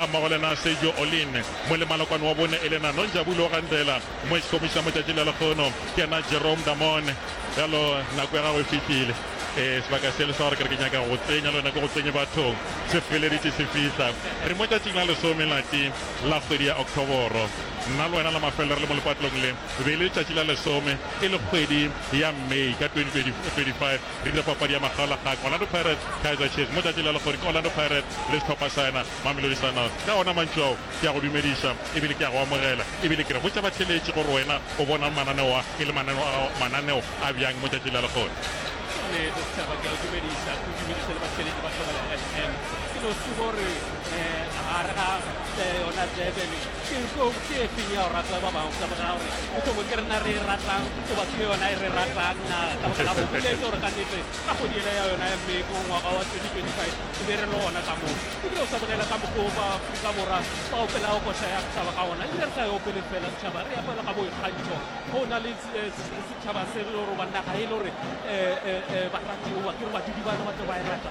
ga mmogo le na Sergio Olin, molemalokwane wa bone e le na Nonjabulo Gandela, moexkomišna motšatši le lekgono ke na Jerome Damone. Bjalo nako ya gago e fihlile. Eh, sebaka se le sa gore ke re ke nyaka go tsenya le yone ke go tsenye bathong se feleditše se fihla re mo tšatšing la lesome lati la kgwedi ya octoboro nna le wena la mafelelo re le mo lepatlong le be le tšatši la lesome e le kgwedi ya may ka 2025 Rile papadi ya makgaolakgang Orlando Pirates, Kaizer Chiefs mo tšatši le lekgodi ke Orlando Pirates le sehlopha sa yena Mamelodi Sundowns. Ka ona mantšu ao ke a go dumediša ebile ke a go amogela ebile ke re botša batheeletši gore wena o bonang mananeo a e le mananeo a gago mananeo a bjang mo tšatši la lekgodi. Ke nnete setšhaba ke a o dumediša ke o dumediše le batheeletši ba Thobela FM. Ke no se gore gare ga yona Durban Tlou ke e feng ya go rata ba bangwe ka baka gore e tlo bo ke rena re e ratang goba ke yona e re ratang na ka baka la go boletse gore ka nete ka kgodi ela ya yona ya mme go ngwaga wa 2025 e be re le gona ka moo ebile o sa bolela ka mokgwa ba Afrika Borwa ba opelago kotla ya setšhaba ka gona ebile re sa e opele fela setšhaba re apela ka boikgantšho go na le eh, setšhaba se gore ba naga e le gore eh, eh, baratiwa ke re badudi bana ba tlo ba e rata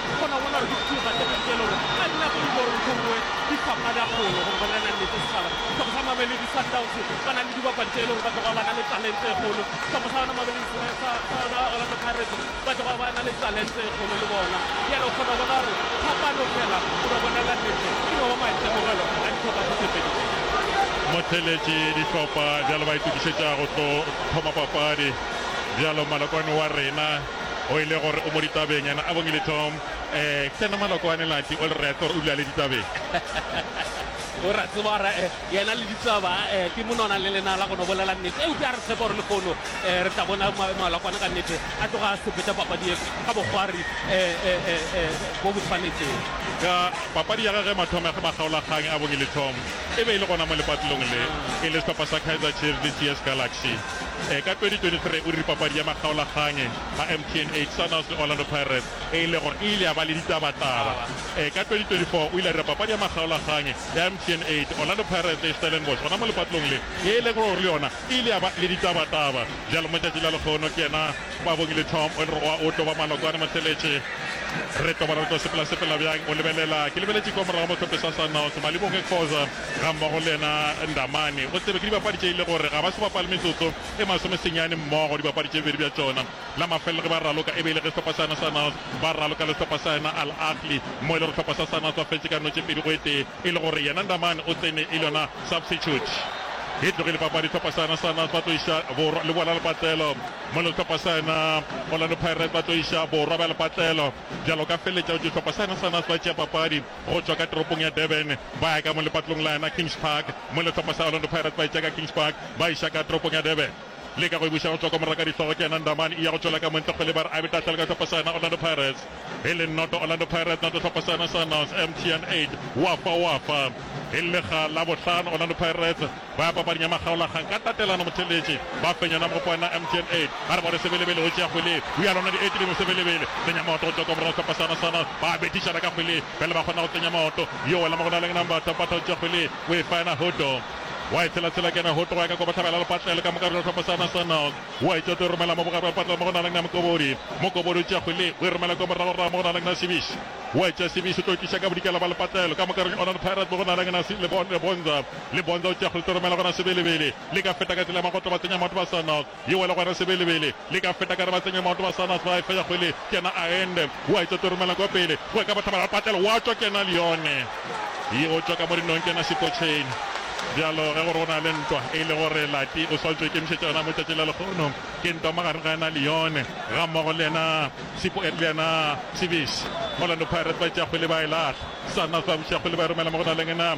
Motheeletši, Dihlopha bjalo ba itokišetša go tlo thoma papadi bjalo malokwane wa rena. o e le gore o mo ditabeng yena a bongile Tom eh tsena maloko a ne lati o le rete gore o dula le ditabeng o ra tseba gore eh, yena le ditaba eh, ke monona le lena la gono bolela nnete eupša a re tshepa gore lehono eh, re tla bona malakwana ka nnete a tloga a sepeta papadi e ka bogwari eh, eh, eh, bo bo tshwanetseng ka papadi ya gage mathomo ya ge makgaolakgang a bongile Tom e be e le gona mo lepatlelong le e le sehlopha sa Kaizer Chiefs le TS Galaxy Ka 2023 o diri papadi ya makgaolakganyi a MTN 8 Sunhouse le Orlando Pirates e e le gore e ile ya ba le ditabataba. Ka 2024 o ile a dira papadi ya makgaolakganyi ya MTN 8 Orlando Pirates le Stellenbosch gona mo lepatlong le ye e lego gore le yona e ile ya ba le ditabataba. Bjalo mo tšatšing la lehono ke yena Babongile Tom o le gore oa otlo ba malokwane motheletše. Re tobana re tlo sepela sepela bjang o lebelela ke lebeletše kwa morago mo tlhophiso ya Sunhouse Malibongwe Khoza Ga mmogo le yena Ndamane o tsebe ke dibapadi tše e le gore ga ba se bapale metsotso e masome senyane mmogo, dibapadi tše bedi bja tšona la mafelelo ge ba raloka e be e le ge sehlopha sa yona sa Nasr ba raloka le sehlopha sa yona Al Ahly mo e le gore sehlopha sa sa Nasr ba fetše ka notše pedi go e tee e le gore yena Ndamane o tsene e le yona substitute. E tlogile papadi sehlopha sa yona sa Nasr ba tlo iša borwa le bola lepatlelo mo e le gore sehlopha sa yona Orlando Pirates ba tlo iša borwa bja lepatlelo bjalo ka feleletša go tšwa sehlopha sa yona sa Nasr ba tšea papadi. go tšwa ka toropong ya Durban ba ya ka mo lepatlong la yona Kings Park mo lehlopha sa Orlando Pirates ba e tšea ka Kings Park ba iša ka toropong ya Durban le ka go e buša go tšwa kwa moraka dihlogo ke yena Ndamani e ya go tšwela ka montle kgwele ba re a be tahlela ka hlopha sa yona Orlando Pirates e le noto Orlando Pirates noto hlopha sa yona sa Nos MTN 8 wa fa wa fa e le lega la bohlano Orlando Pirates Ba papadi ya makgaolakgang ka tatelano motheletše ba fenyana mogopo wa yona MTN 8 ba re bone Sebelebele o tšea kgwele go ya lona di-8 dingwe Sebelebele tsenya maoto go tšwa kwa morago ka pasana sana ba bethišana ka kgwele pele ba kgona go tsenya maoto yo wela mo go na leng Nambata Mpata o tšea kgwele o e fa yena Hoto wa e tshela tshela ke yena Hoto wa ya ka kwa Bohlabela Lepatlelo ka moka bjalo pasana sana wa e tšea o tlo e romela mo bogare bja lepatlelo mo go na leng Mokobodi Mokobodi o tšea kgwele o e romela kwa morago rago mo go na leng Sebiši wa e tšea Sebiši o tlo e tliša ka bodikela bja lepatlelo ka moka Orlando Pirates mo go na leng Lebonza le bontša go tšea kgolotoro mela gona Sebelebele le ka feta ka tsela ya magoto ba tsenya maoto ba Sannath yo le gona Sebelebele le ka feta ka re ba tsenye maoto ba Sannath ba efa ya kgwele kena a ende o a itsotoro mela kwa pele go ya ka bathabara patlelo wa tšwa kena le yone ye o tšwa ka mo dinong kena Sekotšheni bjalo ge gore go na le ntwa e le gore Lati o swantšwe ikemišetša yona mo tšatši la lekgono ke ntwa magareng ga yena le yone ga mmogo le yena Sipo le yena Sibisi Orlando Pirates ba tšea kgwele ba e lahla Sannath ba buša kgwele ba e romela mo go na le yena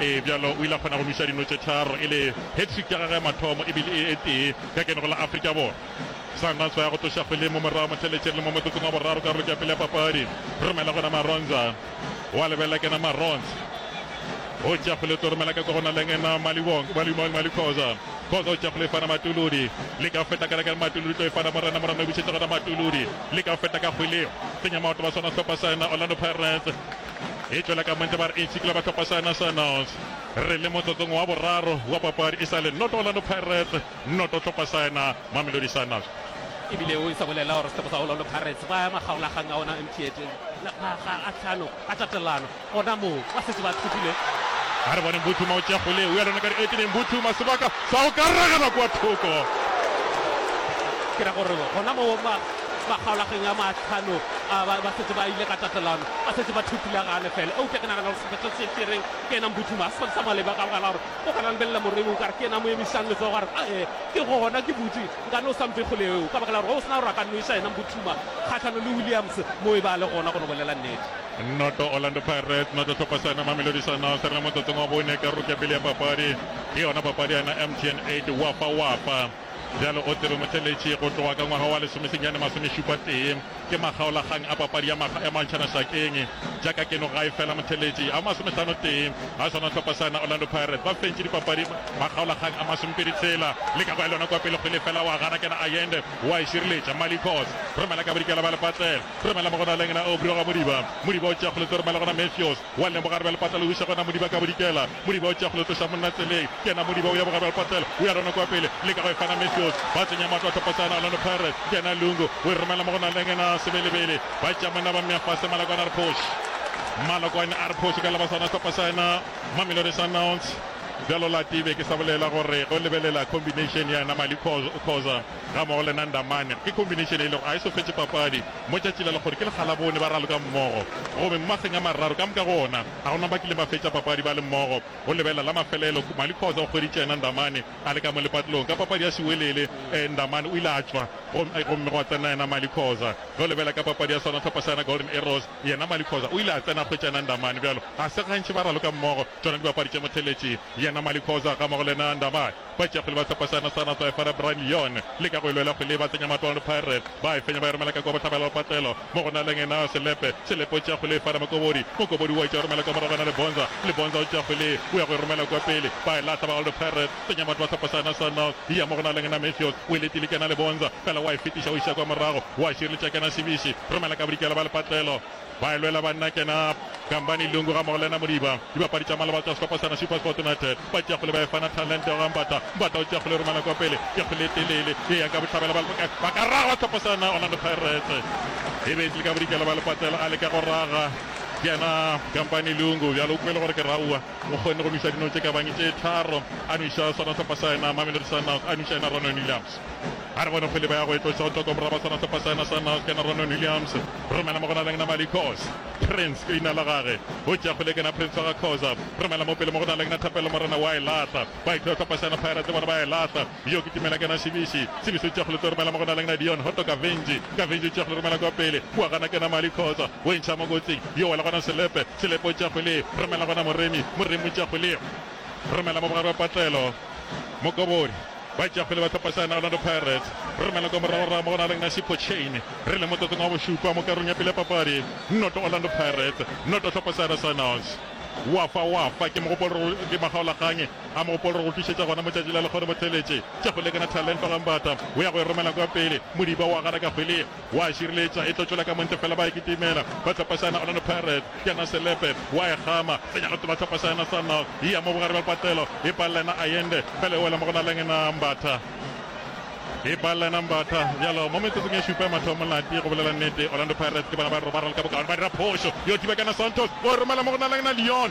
Ee, bjalo o ile a kgona go nweša dino tše tharo e le hat-trick ya gagwe ya mathomo e bile e e tee ka kenego la Afrika Borwa. Sundowns ba ya go tloša kgweleng mo morago motheletšeng le mo motsotsong wa boraro karolong ya pele ya papadi. Romela gona Maronza wa lebelela kena Maronza o tšea kgwele o tlo romela ka kwa go na leng ena Maliwong Malimong Mali Khoza Khoza o tšea kgwele e fana Matuludi le ka feta ka lekana Matuludi tlo e fana Morena Morena o bušetsa gona Matuludi le ka feta ka kgweleo tsenya maoto ba swana sehlopha sa ena Orlando Pirates e tšwela ka Mantša ba re e tshikela bahlopha sa Nationals. Re le motsotsong wa boraro wa papadi e sa le noto Orlando Pirates, noto hlopha sa ena Mamelodi Sundowns. E bile o isa bolela gore sehlopha sa Orlando Pirates ba ema kgaolakgang a ona MTN makga a tlhano a tatelano gona moo ba setse ba thopile. A re boneng Buthuma o tšea kgole o ya lona ka dieteng, Buthuma sebaka sa go ka ragelwa kwa thoko. Ke ra gore gona moo ba ba kgaolageng ya matlhano a ba ba setse ba ile ka tatelano ba setse ba thutile gane fela eupša ke nagana gore sephetho se tšereng ke ena mbuthuma a se sa maleba ka bogala gore o gana lebelela moreng o kare ke ena mo emišang letsogo gore ee ke gona ke butse nkane o sampe kgoleo ka baka la gore o sena gore a ka nnoiša ena mbuthuma kgatlhano le williams mo e ba le gona go no bolela nnete nnoto orlando pirates nnoto tlhopha sa ena mamelodi sundowns re le motsotsong wa bone karolo ke ya pele ya papadi ke yona papadi ya ena mtn 8 wapa wapa Bjalo o tsebe motšeletši go tloga ka ngwaga wa lesomesenyane masomešupa tee ke makgaolakgang a papadi ya makga ya mantšhana šakeng jaka keno gae fela motšheletši a masomehlano tee a swana hlopha sana Orlando Pirates ba fentše dipapadi makgaolakgang a masomepedi tshela le ka go ya lona kwa pele kgwele fela wa gana kena Ayende wa e šireletša Malikos romela ka bodikela ba lepatlela romela mo go na lengna Aubrey wa Modiba Modiba o tšea kgoletse romela gona Matthews Wa lemoga re be le patlelo wiša gona modiba ka bodikela modiba o tšea go le tloša monna tseleng ke yena modiba o ya boga be le patlelo o ya rona kwa pele le ka go e fana Matthews ba tsenya matlo a tlhophosana Orlando Pirates ke yena Lungu o e romela mo go naleng ena sebelebele ba tšea monna ba mmea fase Malokwane a re phoši Malokwane a re phoši ka laba sona sehlopha sa ena Mamelodi Sundowns. Bjalo Latibe ke sa bolela gore go lebelela combination ya ena Mali Khoza Gammogo le Nanda Mann ke khombineišene e lego a e sofetše papadi mo tšatši la lekgodi ke lekgalabone ba raloka mmogo gobe mo mageng a mararo ka moka go ona ga go na ba kileng ba fetša papadi ba le mmogo go lebelela la mafelelo Khumali Khoza o hweditše Nanda Mann a le ka mo lepatlelong ka papadi ya sewelele Nanda Mann o ile a tšwa gomme gwa tsena yena Mali Khoza go lebela ka papadi ya sona hlopha sa yona Golden Arrows yena Mali Khoza o ile a tsena a hwetša Nanda Mann bjalo ga se gantši ba raloka mmogo tšona dibapadi tše motheletši yena Mali Khoza gammogo le Nanda Mann Batšeafele ba sepa seana sa Natswa Efara Brian Lyon leka go e lwela kgwele ye ba tsenya matolo le Pirates ba e fenya ba e romela ka kwa bohlabela ba patlelo mo go na leng Nao Selepe, Selepe o tšea kgwele Efara Mokobodi, Mokobodi o etša o romela ka morago na le Bonza, le Bonza o tšea kgwele o ya go e romela kwa pele ba e lahla ba Old Pirates tsenya batho ba sepa seana sa North e ya mo go na leng na Mathews o e letile kena le Bonza fela wa e fetiša o iša kwa morago wa šireletša kena Šibiši romela ka bodikela ba le patlelo Ba e lwela banna kena Gambani Lungu gammogo le yena Modiba. Dibapadi tša maloba tša sehlopha sena SuperSport United ba tšea kgole ba e fa Nathanlente ga Mbata. Mbata o tšea kgole romela kwa pele, ke kgole e telele e yang ka bohlabela ba leboka ba ka raga sehlopha sena Orlando Pirates. E be e tlile ka bodikela ba lepatlela a leka go raga kena Gambani Lungu bjale o kwele gore ke raua. O kgonne go nwisa dino tše ka bang tše tharo a nwiša sona sehlopha sa yena Mamelodi Sundowns a nwiša yena Ronnweng Williams. A re bone kgwele ba ya go e tloša go tšwa kwa borwa ba sona sehlopha sa yona sa Nalkena Ronon Williams romela mo go Naleng Namali Khoza Prince ke leina la gage o tšea kgwele kena Prince wa ga Khoza romela mo pele mo go Naleng na Thapelo Morena wa e lahla ba e tloša sehlopha sa yona Pirates le bona ba e lahla yo ke Tumela kena Sibisi Sibisi o tšea kgwele tlo romela mo go Naleng na Dion Hoto Kavenji Kavenji o tšea kgwele romela kwa pele kua gana kena Mali Khoza o e ntšha mo kotsing yo wela gona Selepe Selepe o tšea kgwele romela gona Moremi Moremi o tšea kgwele romela mo bogare ba patlelo Mokobori Ba tšea pele ba tla pasa yona Orlando Pirates. Re romela kwa morago-rago mo go na leng Nasib Pochane. Re leng motsotsong wa bošupa mo karolong ya pele ya papadi. Noto Orlando Pirates, noto Tlhopho Sahara Signals. Wafa Wafa ke mogopolo re go ke makgaolakgang a mogopolo re go tlišetša gona mo tšatši la lekgono mo theletše tša go lekana Thalento Gambata o ya go e romela kwa pele Modiba o agana ka kgwele Wa e šireletša, e tlo tšwela ka montla fela ba e kitimela. Ba tlhophašana, Orlando Pirates, ke yena Selepe, wa e kgama, tsenya go tlola tlhophašana Sundowns, e ya mo bogare bja lepatlelo, e palela yena Ayende, fela e wela mo go na leng yena Mbatha. E palela yena Mbatha, bjalo mo metsotsong e šupa ya mathomo Lati, go bolela nnete, Orlando Pirates ke bona ba re ba ralka bokaone, ba dira phošo, yo thiba ke yena Santos, o e romela mo go na leng yena Leon,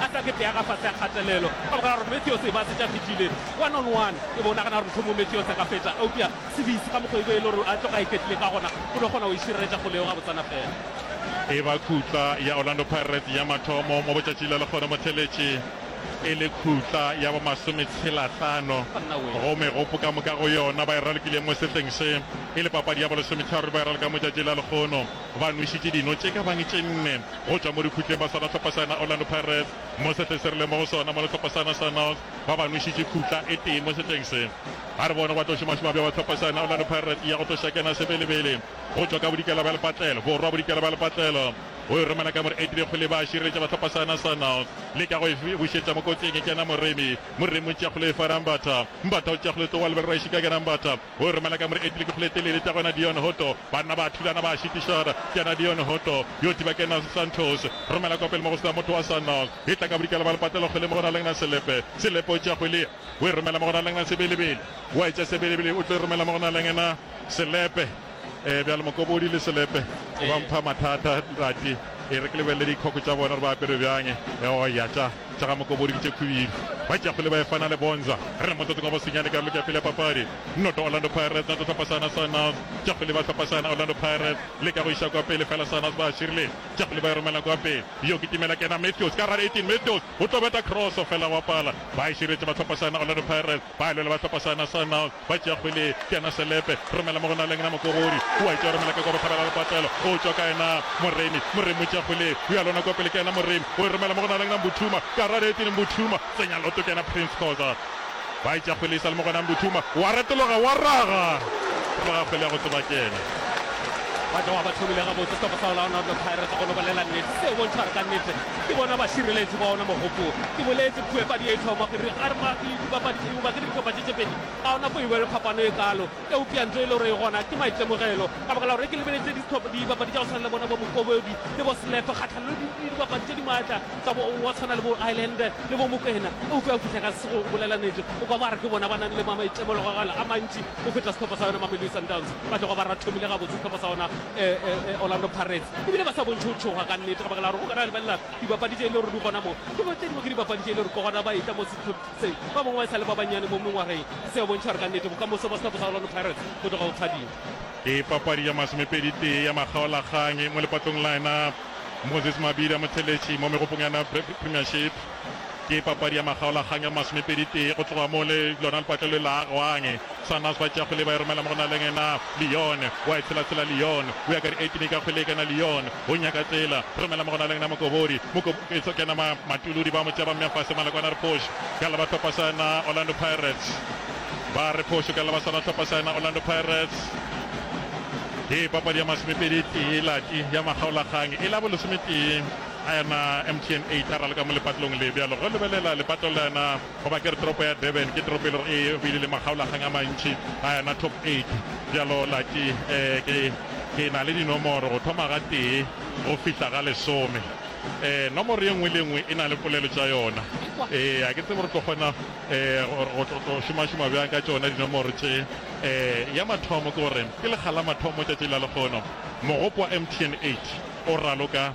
a tla ke peaga fase a kgatelelo. Ka baka la gore Matthews e ba se tša fihlile one on one, ke bo o nagana gore mohlomong Matthews a ka fetša, eupša Sibisi ka mokgwa e be e le gore a tloga a iketlile ka gona, o no kgona go e šireletša kgole yeo gabotsana fela. E ba khutla ya Orlando Pirates ya mathomo mo botšatši le lekgone mo theletše, e le khutla ya bo masometshelahlano go megopo ka moka go yona ba e ralokileng mo sehleng se. E le papadi ya bo lesometharo ba e raloka mo tšatši la lekgono. Ba nwešitše dino tše ka bang tše nne go tšwa mo dikhutleng ba swara hlopha sa yona Orlando Pirates mo sehleng se rileng mo go sona, mola hlopha sa yona sa North ba ba nwešitše khutla e tee mo sehleng se. A re bono ba tlo šomašoma bjaba hlopha sa yona Orlando Pirates e ya go tlo šakena sebelebele go tšwa ka bodikela bja lepatlelo, borwa bodikela bja lepatlelo. O e romela ka mo re etile kgole e ba a šireletša ba hlopha sa yona sa North le ka go e bušetša mo kotsing e kena Moremi, Moremi o tšea kgole e fa Rambatha, Mbatha o tšea kgole e tloga go lebelelwa e šika ke Rambatha. O re Malaka More etile ke Foletelele tša gona Dion Hotto, banna ba thulana ba šitišana, ke yena Dion Hotto yo tiba ke Nas Santos. Romela kwa pele mo go se na motho wa Sanal, e tla ka bodikela ba lepatelo kgwele mo go na leng na selepe, selepe o tšea kgwele ye o e romela mo go na leng na sebelebele, wa e tšea sebelebele o tlo e romela mo go na leng na selepe. Ee, bjale Mokobodi le selepe ba mpha mathata, Ntate. E re ke lebelele dikhoko tša bona gore ba apere bjang. Eoya tša. Tša ga Mokobori ke tše khwi. Bakeafole ba efana le bonza. Re le motsotsong wa bosenyane ka karolo ke ya pele ya papadi. Noto Orlando Pirates noto Tlhapasana Sundows. Keafole ba Tlhapasana Orlando Pirates le ka go iša kwa pele fela Sundows ba širile. Keafole ba e romela kwa pele. Yo ke Timela Kena Mathews ka gare 18 Mathews o tlo beta cross fela wa pala. Ba e širetše ba Tlhapasana Orlando Pirates. Ba lwela ba tlhopa sa na sa Nal ba tšea kgwele ya na Selepe romela mo go Naleng na Mokogori o a e tšea romela ka kwa bohlabela le patlelo o tšwa kae na Moremi Moremi o tšea kgwele o ya lona kwa pele ke ena Moremi o e romela mo go Naleng na Mbuthuma Karate e tene Mbuthuma tsenya loto ke ena Prince Khoza ba e tšea kgwele e sa le mo gona Mbuthuma o a retologa o a raga raga kgwele ya go tseba ke ena. ba tloga ba thomile gabotse sehlopha sa olaona orlo pirates go no bolela nnete se bontšha gore ka nnete ke bona bašireletši ba ona mogopolo ke boletse puepadi e tlhoma gore a re Dipapathiba ke ditšopathi tše pedi, ga gona fo e bjalo phapano e kalo. Eupša ntho e le gore e gona ke maitemogelo. Ka baka la gore ke lebeletše dipapadi tša go swana le bona bo Mokobodi le bo Selepe kgahlanong le dipapadi tše di maatla tsa go tshwana le bo Ireland le bo Mokwena, eupša o fihla ka se go bolela nnete o kwa ba re ke bona ba nang le maitemologelo a mantši go feta sehlopha sa yona Mamelodi Sundowns. Ba tloga ba rathomile gabotse sehlopha sa yona Orlando Pirates e bile ba sa bontšhe go tšhoga ka nnete ka baka la gore go ka na lebelela dipapadi tše e le gore di gona mo ke tše dingwe ke dipapadi tše e le gore ke gona ba etla mo Seo ba bangwe ba e sa le ba bannyane mo mengwageng, se a bontšha gore ka nnete bokamoso ba Stop Kgaolano Pirates bo tloga bo phadima. Ke papadi ya masomepedi-tee ya makgaolakgang mo lepatlong la yona Moses Mabidi a Motheletši mo megopong ya yona Premiership. Ke papadi ya makgaolakgang ya masomepedi-tee go tloga mo lona lepatlelo le agwang. Sanas ba tšea kgwele ba e romela mo go na le ngena Leon wa e tshela tshela Leon o ya ka di 18 ka kgwele e kena Leon o nyaka tsela romela mo go na le ngena Mokobori Mokobori e tlo kena ma Matuludi ba mo tšea ba mmea fase Malakwana re phošo ka leba tlhopa sa yena Orlando Pirates ba re phošo ka leba sona tlhopa sa yena Orlando Pirates ke papadi ya masomepedi tee lati ya makgaolakgang e la bo lesometee a yena MTN 8 a raloka mo lepatlong le bjalo go lebelela lepatlong la yena Goba ke re toropo ya Durban ke toropo e lego e bile le makgaolakgang a mantši a yana top eight. Bjalo Lucky, eh, ke, ke na le dinomoro go thoma ga tee go fihla ga lesome. Eh, nomoro ye nngwe le ye nngwe e na le polelo tša yona. Eh, a ke tsebe re tlo kgona, eh, go, go tlo, tlo šomašoma bjang ka tšona dinomoro tše. Eh, ya mathomo ke gore ke lekga la mathomo tšatši la lekgono, mogopo wa MTN eight o raloka.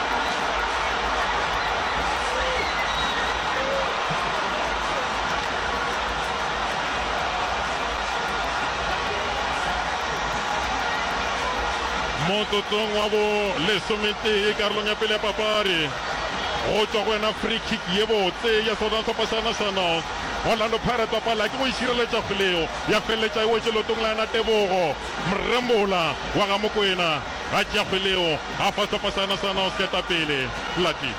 motsotsong wa bo lesometee karolong ya pele ya papadi go tswa go yena free kick ye botse ya southern sepa sa nationals orlando pirates wa pala ke go isireletša e kgoleo ya feleletša e wetše lotong la yena tebogo mrembola wa ga mokwena Ga tšea kgwele yeo, a fasapa seana sa yona go se ka etapele. Flatley.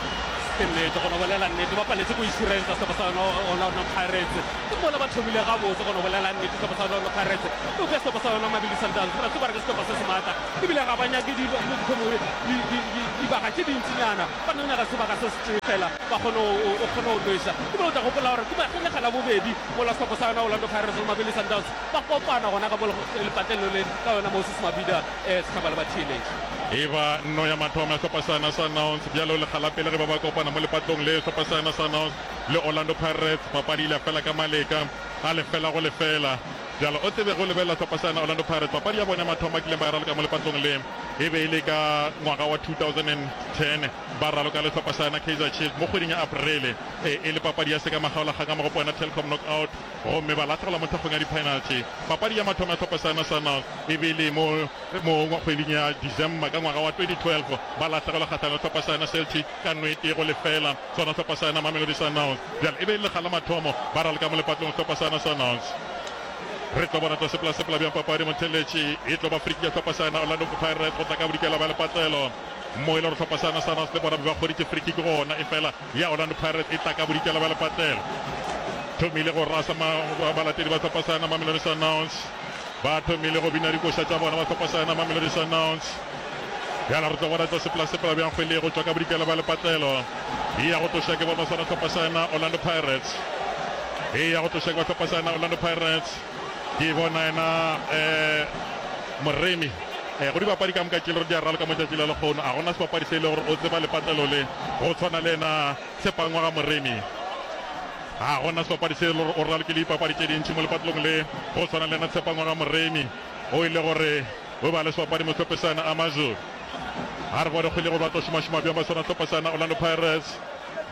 Ke nnete, go no bolela nnete, ba paletse go isirensa sehlopha sa yona Orlando Pirates. Ke mola ba thomile gabotse, go no bolela nnete, sehlopha sa Orlando Pirates. Eupša sehlopha sa yona Mamelodi Sundowns, re a tseba re ke sehlopha se se maatla, ebile ga ba nyake dibaka tše dintsinyana, ba no nyaka sebaka se se tee fela, ba kgone o kgone go nwesa. Ebile o tla gopola gore ke lekga la bobedi mola sehlopha sa yona Orlando Pirates le Mamelodi Sundowns ba kopana gona ka mo lepatlelo le ka yona Moses Mabhida. Sethaba le batheeletši. E ba nno ya mathomo ya sehlopha sa yona sa Nouns bjale o lekga la pele ge ba ba kopana mo lepatlong le sehlopha sa yona sa Nouns le Orlando Pirates. Papadi e ile ya fela ka maleka a lefela go lefela. Bjale o tsebe ge o lebelela sehlopha sa yona Orlando Pirates, papadi ya bona ya mathomo ba kileng ba e raloka mo lepatlong le e be e le ka ngwaga wa 2010 ba raloka le sehlopha sa yona Kaizer Chiefs mo kgweding ya Aprele e le papadi ya sekamagaolakgang ka mo go Poena Telkom Knockout. gomme ba lahlogela mo thekgong ya diphenalthi. Papadi ya mathomo ya Tlhopho sa Nacional e be e le mo moong wa kgweding ya December ka ngwaga wa 2012, ba lahlegelwa kgahlano le Tlhopho sa yona Celtic ka no e tee go lefela. Sona Tlhopho sa yona Mamelodi Sundowns bjale e be e le lekga la mathomo ba ralka mo lepatlong Tlhopho sa Nacionals. Re tlo bona tlaseplasepla bjang papadi mo theletše e tlo ba friki ya Tlhopho sa yona Orlando Pirates go tla ka bodikela bja lepatlelo mo e le gore Tlhopho sa Nacionals le bona be ba kgoditše frikiki gona efela ya Orlando Pirates e tla ka bodikela bja lepatlelo. Thomile go rasa ma balatedi ba sehlopha sa yona Mamelodi Sundowns. Ba thomile go bina dikoša tša bona ba sehlopha sa yona Mamelodi Sundowns. Bjala re tlo bona tlo sepela-sepela bjang kgwele go tšwa ka bodikela bja lepatlelo. E ya go tloša ke bona sona sehlopha sa yona Orlando Pirates. E ya go tloša ke ba sehlopha sa yona Orlando Pirates. Ke bona yena um Moremi um go dibapadi ka moka ke le gore di a raloka mo tšatši la lekgono. A gona sebapadi se e le gore o tseba lepatlelo le go tshwana le yena Sepangwa ga Moremi. A gona sebapadi se e le gore o ralokile dipapadi tše dintši mo lepatlelong le go tshwana le yena Sepangwa ga Moremi o e le gore o ba le sebapadi mo tlhopesana a Mazulu. A re bone kgwele gore ba tlo šomašoma bjang ba swana tlhopesana Orlando Pirates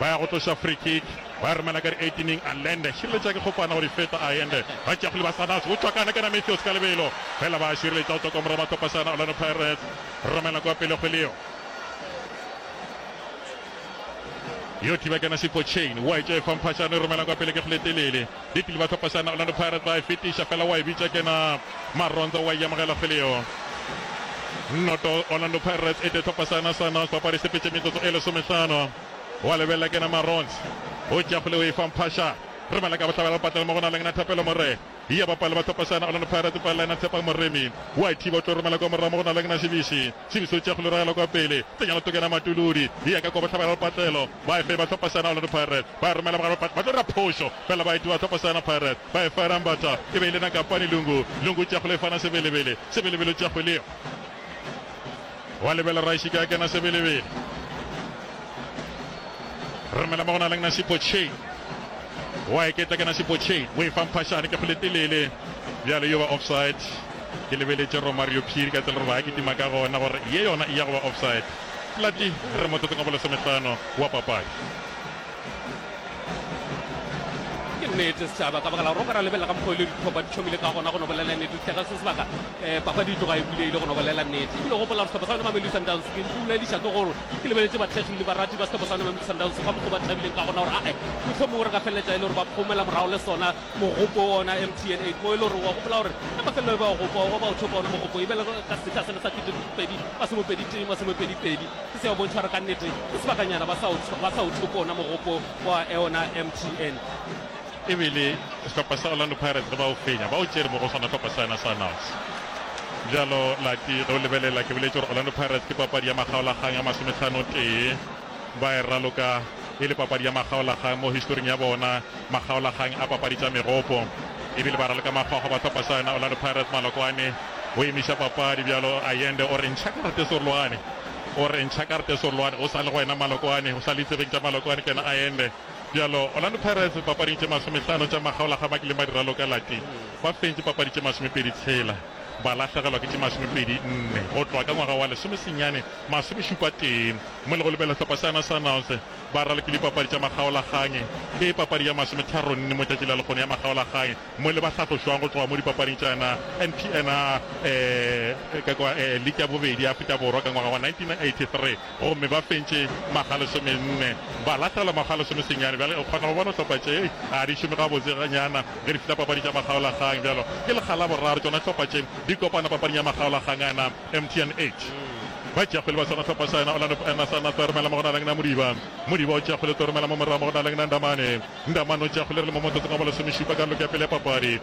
ba ya go tloša free kick. Ba re Malaka re eighteen-ing a lende, šireletša ke kgopana gore Ifeta a ende, ba tšeago le ba Sannazi go tšwa kana kana Mathews ka lebelo, fela ba a šireletša go tšwa kwa morago ba Kopašana Orlando Pirates romela kwa pele kgwele yeo. Yo thiba kana Sipho Chain wa e tšea e fa Mphashane e romela kwa pele ke kgwele e telele, Ditlile ba Kopašana Orlando Pirates ba e fetiša fela wa e bitša kana Maronza wa e amogela kgwele yeo. Nnoto Orlando Pirates e tee Kopašana Sannazi papadi e sepetše metsotso e lesomehlano. O a lebelela ke na Marons o tšea kgole o e fa Mphasha. Re bala ka bohlabela lepatlelo mo go na le Ngna Thapelo Morena. Eya bapale ba tlhopa seana Orlando Pirates o palela Ngna Tshepang Moremi. O a e thiba o tlo romela kwa morago mo go na le Ngna Sibisi. Sibisi o tšea kgole o ragela kwa pele. Tsenya loto ke na Matuludi. Eya ka kwa bohlabela lepatlelo. Ba e fa e ba tlhopa seana Orlando Pirates. Ba e romela mogare wa lepatlelo. Ba tlo dira phošo fela ba e thiba tlhopa seana Pirates. Ba e fa Era Mbata. E be e le Nakapani Lungu. Lungu o tšea kgole o e fa na Sebelebele. Sebelebele o tšea kgole eo. Wa lebela Raishike a kena sebelebele. Remela mo go na leng Nasipo Chain. Wa e ketla ke Nasipo Chain. O e fa mphashane ke go le telele. Bjale yo ba offside. Ke lebeletše Romario Phiri ka tsela gore ba kitima ka gona gore ye yona e ya go ba offside. Plati re motsotsong wa bolesomehlano wa papadi. Ke nnete setšhaba ka baka la gore o ka ra lebelela ka mokgwa o ile dithopa di tšhomile ka gona go no bolela nnete. Ditlhega se sebaka Papadi e tloga e bulegile go no bolela nnete. Ebile gopola gore sehlopha sa yona Mamelodi Sundowns ke ntumediša ke gore ke lebeletše bathekgi le barati ba sehlopha sa yona Mamelodi Sundowns ka mokgwa o ba thabileng ka gona gore ae mohlomongwe re ka feleletša e le gore ba phomela morago le sona mogopo wa ona MTN 8 mo e le gore wa gopola gore ka mafelelo e ba ogopo ba o thopa ona mogopo e bele ka sehla sele sa kete pedi masome pedi tee masome pedi pedi se se ya bontšha gore ka nnete ke sebakanyana ba sa o thope ona mogopo wa ona MTN E be e le sehlopha sa Orlando Pirates ge ba o fenya, ba o tšere mo go sona sehlopha sa yona sa Nals. Bjalo Lati, ge o lebelela, ke boletše gore Orlando Pirates ke papadi ya makgaolakgang ya masomethanotee. Ba e raloka e le papadi ya makgaolakgang mo historing ya bona, makgaolakgang a papadi tša megopo. E bile ba raloka makgwakgwa ba sehlopha sa yona Orlando Pirates. Malokwane o emiša papadi bjalo. Ayende o re, Ntšha karate Sorloane. O re, Ntšha karate Sorloane. O sa le go wena Malokwane, o sa le ditsebeng tša Malokwane ke yena Ayende. Bjalo, Orlando Pirates dipapading tše masomehlano tša magaola ga ba kile ba di raloka lati, ba fentše papadi tše masomepedi tshela, ba lahlegelwa ke tše masomepedi nne go tloga ka ngwaga wa lesomesenyane masomešupa tee, mo le go lebelela sehlopha sa yona Sundowns ba ralokile dipapadi tša magaolagae ke papadi ya masometharo nne mo tšatši la lekgono ya magaolagae mo le ba hlatlošwago go tloga mo dipapading tša yona NPNR eh, eh, eh, League ya bobedi ya Afrika Borwa ka ngwaga wa 1983. gomme ba fentše makga a lesomenne, ba lahlelwa makga a lesomesenyane. Bjale o kgona go bona hlopha tše a di šome gabotseganyana ge di fihla papading tša makgaolakgang. Bjalo ke lekga la boraro tšona hlopha tše di kopana papading ya makgaolakgang a na MTN 8. Ba tšeakgwele ba sona hlopha sa na Orlando Pirates na Toromela mo go na leng na Modiba. Modiba o tšeakgwele Toromela mo morago mo go na leng na Ndamane. Ndamane o tšeakgwele re le mo motsotsong wa bolesomešupa karolong ya pele ya papadi.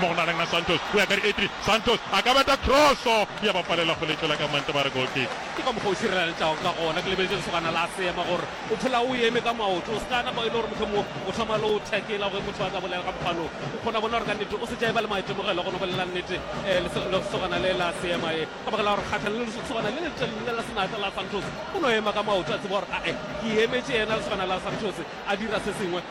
mo go naleng a Santos o ya ka dietri, Santos a ka beta kroso ya ba palela go letšwela ka mante ba re goal kick. Ke ka mokgwa o sireletšago ka gona, ke lebeletše lesogana la Seema gore o phela o eme ka maoto, o se ka napa e le gore mohlomongwe o thoma le o tackle-a ge motho a tla bolela ka mokgwa lo, o kgona bona gore ka nnete o se tšaiba le maitemogelo go no bolela nnete lesogana le la Seema e ka baka la gore kgatlha le lesogana le letelele la senatla la Santos o no ema ka maoto a tseba gore ae ke emetše yena lesogana la Santos a dira se sengwe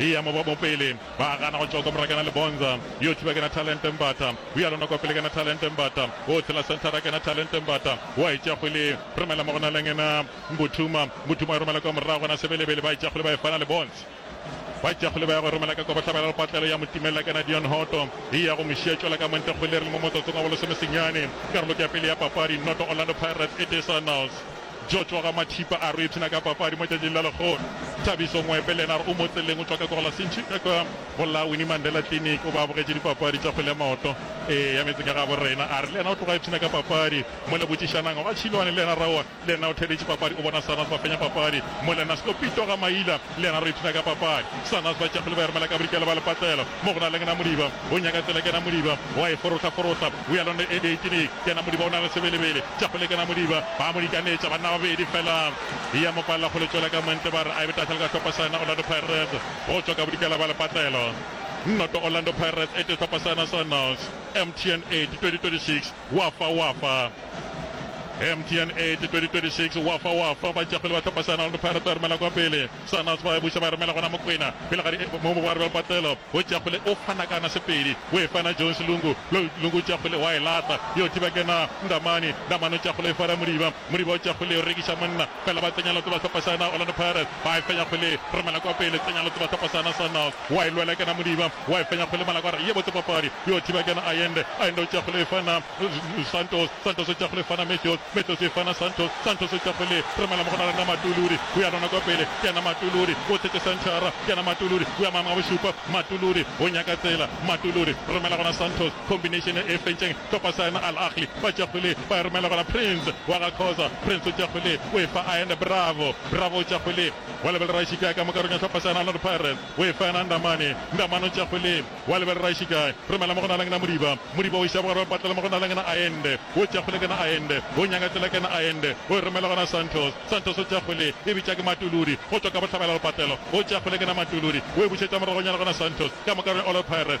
Eya mo mo pele ba gana go tšoka morakena Lebonza yo thiba kena Talente Mbatha o ya lona kwa pele kena Talente Mbatha o tshela senthara kena Talente Mbatha o a e tšea kgwele romela mo gona leng ena Mbuthuma Mbuthuma e romela kwa morago gona Sebelebele ba e tšea kgwele ba e fana Lebonza ba e tšea kgwele ba ya go e romela ka kwa bohlabela Lepatlelo ya mo timella kena Dion Hoto e ya go mo šiya tšwela ka montle kgwele re le mo motsotsong wa bolesomesenyane karolo ke ya pele ya papadi noto Orlando Pirates e tee Sundowns. Jojo Ramathipa a re o ipshina ka papadi mo tšatšing la Lekgono. Thabiso Ngwepe le yena a re o mo tseleng o tšwa ka Kogela Sintšhi ka kwa go la Winnie Mandela Clinic o ba a bogetše dipapadi tša kgwele ya maoto ee ya metse ka gabo rena. A re le yena o tloga a ipshina ka papadi mo le Botšišanang ga Tšhilwane le yena Raowa le yena o theeditše papadi o bona Sarnas ba fenya papadi mo le Nasko Pito Gamaila Lena re ipshina ka papadi. Sanas ba tšegile ba ermela ka bodikela ba lepatlelo mo go na leng Namodiba. O nyaka tsela ke Namodiba. O a e forohla forohla. We are on the edge eighteen. Ke Namodiba o na le sebelebele. Tšegile ke Namodiba. Ba mo dikanetša banna ba babedi fela. E a mo palela go le tšwela ka montle ba re a e be tahla le ka hlopha sa yena Orlando Pirates go tšwa ka bodikela ba lepatlelo. Noto Orlando Pirates e tee hlopha sa yena Sanas. MTN 8, 2026. Wafa Wafa MTN 8 2026 Wafa Wafa ba ntšapele ba tlhopa Sana le Pirates ba romela kwa pele Sana ba e buša ba romela gona Mokwena pele ga eh, mo mogware ba patelo o tšapele o fana kana sepedi o e fana Jones Lungu Lungu tšapele wa e lata yo thiba kena Ndamani Ndamani o tšapele e fara Modiba Modiba o tšapele o rekiša monna fela ba tsenya lotse ba sepa sana Orlando Pirates ba e fenya kgwele romela kwa pele tsenya lotse ba sepa sana Sundowns wa e lwela kena Modiba wa e fenya kgwele Malagwara ye botse papadi yo thiba kena Ayende Ayende o tšea kgwele e fana Santos Santos o tšea kgwele e fana Matthews Matthews e fana Santos Santos o tšea kgwele romela mo go na rena Matuludi o ya rona kwa pele kena Matuludi o thetše centre kena Matuludi o ya mama bošupa Matuludi o nyaka tsela Matuludi romela gona Santos Combination e e fentšeng topa Saema Al Ahly ba tšea kgwele ba e romela gona Prince wa ga Khoza, Prince o tšea kgwele o e fa Ayanda Bravo, Bravo o tšea kgwele wa lebelera Ishikai ka mo karong ya hlopha Saena Orlando Pirates o e fa yena Ndamane, Ndamane o tšea kgwele wa lebelera Ishikai romela mo go Nalangena Modiba, Modiba o e ša bogare ba patlela mo go Nalangena Ayende o tšea kgwele kena Ayende o nyaka tsela kena Ayende o e romela gona Santos, Santos o tšea kgwele e bitša ke Matuludi go tšwa ka bohlabela go patlelo o tšea kgwele kena Matuludi o e bušetša moragonyana gona Santos ka mo karong ya Orlando Pirates.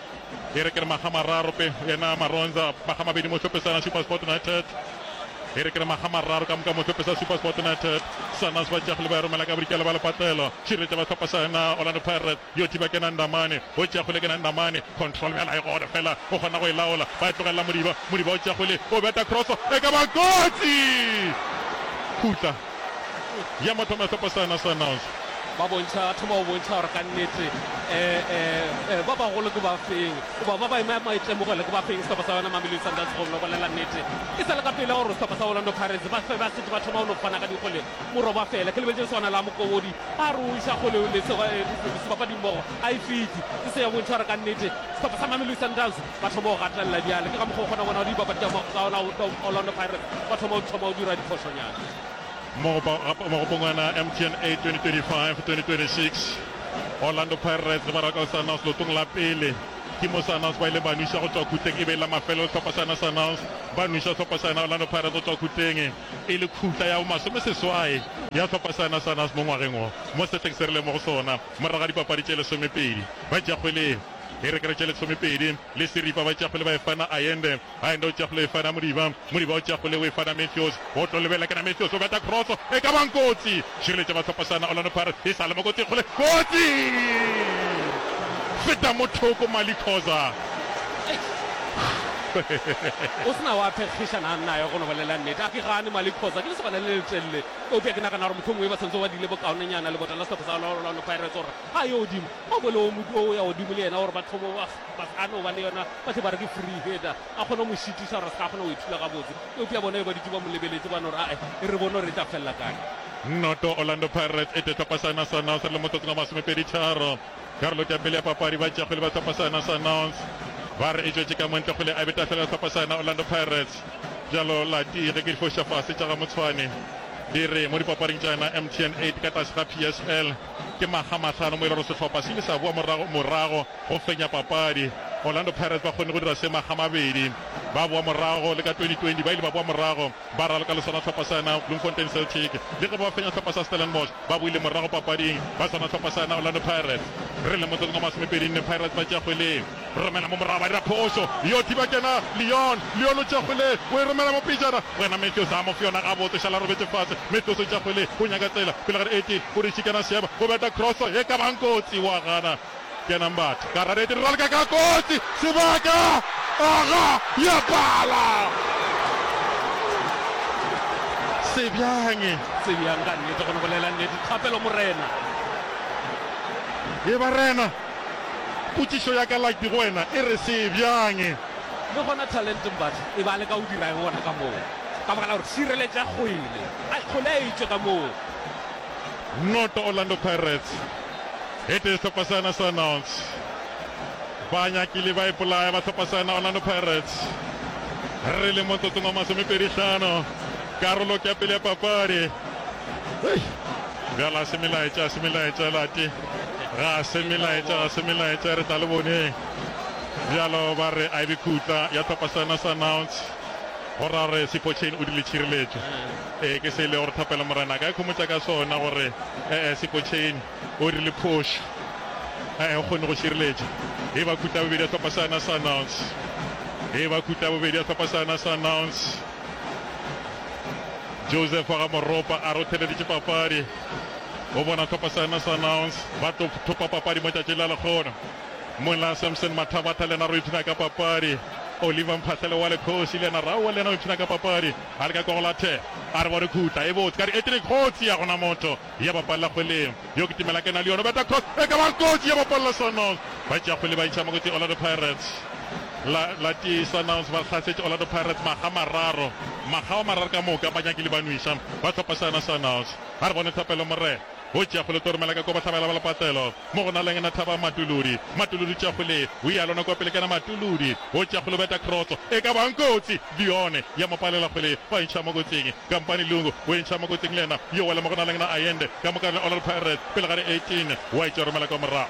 E re ke re makga mararo pe yena Maronza, makga mabedi mo hlopesana Supersport United. E re ke re makga mararo ka moka mo hlopesa Supersport United. Sanas ba tšeago le ba e romela ka bodikela ba lepatlelo. Širetša ba hlopha sa yena Orlando Pirates. Yo thiba ke na Ndamane, o tšeago le ke na Ndamane. Control bjala e gona fela, o kgona go e laola. Ba e tlogelela Modiba, Modiba o tšeago le, o beta cross, e ka ba kotsi! Khutla. ya motho mahlapa sana sanaos ba bontšha a thoma go bontšha gore ka nnete um ba bagolo ke ba feng goba ba ba ema maitemogelo ke ba feng sehlopha sa yona mamelodi sundowns go no bolela nnete e sa le ka pele gore sehlopha sa orlando pirates ba fe ba setse ba thoma go no fana ka dikgole morwa ba fela ke lebeletse swana la mokobodi a re o iša kgole le sebapadimmogo a e fiti se se ya bontšha gore ka nnete sehlopha sa mamelodi sundowns Ba thoma go gatelela bjale, ke ka mokgwa o kgona bona di bapadi tša Orlando Pirates ba thoma go thoma go dira diphošonyana. Mo mogopong ona MTN 8 2025-2026, Orlando Pirates le Baraka Sundowns leotong la pele ke mo Sundowns ba ile ba nwša go tšwa khutleng e be e la mafelelo sehlopha sa yona Sundowns ba nwša sehlopha sa yona Orlando Pirates go tšwa khutleng e le khutla ya bomasomeseswai ya sehlopha sa yona Sundowns mo ngwageng wo mo sehleng se re leng mo go sona morago ga dipapadi tše lesomepedi ba tša kgwele Direkere tše lesomepedi le seripa ba tšafole ba efana Ayende. Ayende o tšafole efana Modiba. Modiba o tšafole o efana Matthews. O tlo lebelela ke na Matthews o beta kroso e ka bang kotsi. Šireletša ba sehlopasana Orlando Pirates e sa le mo kotsi kgole. Kotsi! Feta mo thoko Mali Khoza. O se na wa phekgišana nna ya go no bolela nnete. A ke gane Mali Khoza ke lesogana le letelele. Eupša ke nagana gore mohlomongwe ba santse ba dile bokaonenyana lebota la sehlopha sa Orlando Pirates gore Ga yo godimo, a bo le o modu o ya godimo le yena, gore batho bo ba ba sa no ba le yona, ba tle ba re ke free header, a kgone go mo šitiša gore a se ka a kgona go ithula gabotse. Eupša bona be ba dutše ba mo lebeletše, ba no re, A-e, e re bone gore e tla felela kae. Noto, Orlando Pirates e tee Tlhopha sa yona sa Annonce le motsotsong wa masomepedi tharo. Karolong ya pele ya papadi, batšeakgwele ba Tlhopha sa yona sa Annonce ba re e tšwetše ka mo ntle kgwele a be tafelela Tlhopha sa yona Orlando Pirates. Bjalo Latie, ge ke di foša fase tša ga Motshwane di re mo dipapading tša yona MTN 8 ka tlase ga PSL, Ke makga mahlano mo e le gore sehlopha se ile sa boa morago morago go fenya papadi. Orlando Pirates ba kgonne go dira se makga mabedi ba boa morago le ka 2020 ba ile ba boa morago ba raloka le sona hlopha sana Bloemfontein Celtic. Le ge ba fenya hlopha sa Stellenbosch ba boile morago papading ba swana hlopha sana Orlando Pirates. Re le motsotsong wa masomepedi nne Pirates ba tšea kgwele. Romela mo morago ba dira phošo. Yo thiba kena Leon. Leon o tšea kgwele o e romela mo pejana. Wena Matthews a mo fe yona gabotse šala robetše fase. Matthews o tšea kgwele o nyaka tsela pele ga re Etienne o diši kena Seema go beta cross ye ka bang kotsi wa gana kena Mbatha ka radiate re raleka ka kotsi sebaka aga ya pala sebjang Sebjang ka nnete go ne go lela nnete thapelo morena ye barena. Potšišo ya ka Lagbi go wena e re se bjang? Le gona Talent Mbatha e be a leka go dira eng gona ka moo ka baka la gore šireletša kgwele a kgole a etšwe ka moo. Noto Orlando Pirates e tee sehlopha sena sa Nouts. Ba nyakile ba ipolaya ba sehlopha sena Orlando Pirates. Re le motsotsong wa masomepedi hlano karolo ke ya pele ya papadi. Hei! Bjala se melaetša se melaetša late. Ga se melaetša, ga se melaetša, re tla le boneng. Bjalo ba re a e be kutla ya thapa sena sa nouns go ra gore sepotšheni o di le tšhireletšo. Ee, ke se e lego re thapela Morena. A ka ikhomotša ka sona gore ee sepotšheni o di le phošo. Ee, o kgonne go šireletša. E ba kutla ya bobedi ya thapa sena sa nouns. E ba kutla ya bobedi ya thapa sena sa nouns. Joseph wa ga Moropa a rotheleditše papadi. O bona Copper Science Announce ba tlo thopa papadi mo tšatšing la lekgono. Mola Samson Mathabatha le yena re ipshina ka papadi. Oliver Mphahlele wa Lekgosi le yena raowe le yena o ipshina ka papadi. A leka kwa go lathe a re bo re khutla e botse ka re etri kgotsi ya gona motho ya bapalela kgweleng. Yo ke timela ke na le yona beta cross e ka ba kotsi ya bapalela Sundowns. Ba tšea kgwele ba iša mo kotsi Orlando Pirates. la la tee Sundowns ba hlasetse Orlando Pirates makga mararo makga wa mararo ka moka ba nyakile ba nwiša ba tlhopa sana Sundowns a re bone Thapelo Morena o tšea kgole tlo romela ka kobo tlhabela ba lepatelo mo go na leng na thaba matuludi matuludi tša kgole o ya lona kwa pele kana matuludi o tša kgole beta cross e ka bang kotsi dione ya mopalela kgole ba ntšha mo kotsing kampane lungu o e ntšha mo kotsing lena yo wa le mo go na leng na ayende ka moka le Orlando Pirates pele ga re 18 wa e tša romela kwa morago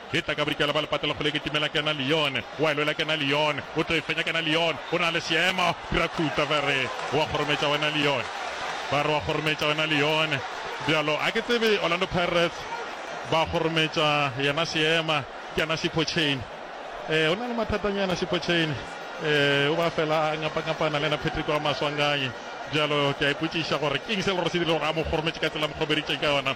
Ke tla ka bodikela bwa lepatela kgole ke timela kena Leone wa lwela kena Leone o tlo e fenya kena Leone o na le seemo dira khuta ba re wa kgorometša wena Leone ba re wa kgorometša wena Leone bjalo a ke tsebe Orlando Pirates ba kgorometša yena seema kena Sipho Chain e o na le mathatanyana Sipho Chain e o ba fela a ngapa ngapana le yena Patrick wa Maswanganyi bjalo ke a ipotšiša gore ke eng se le gore se dire gore a mo kgorometše ka tsela mokgobeditše ka yona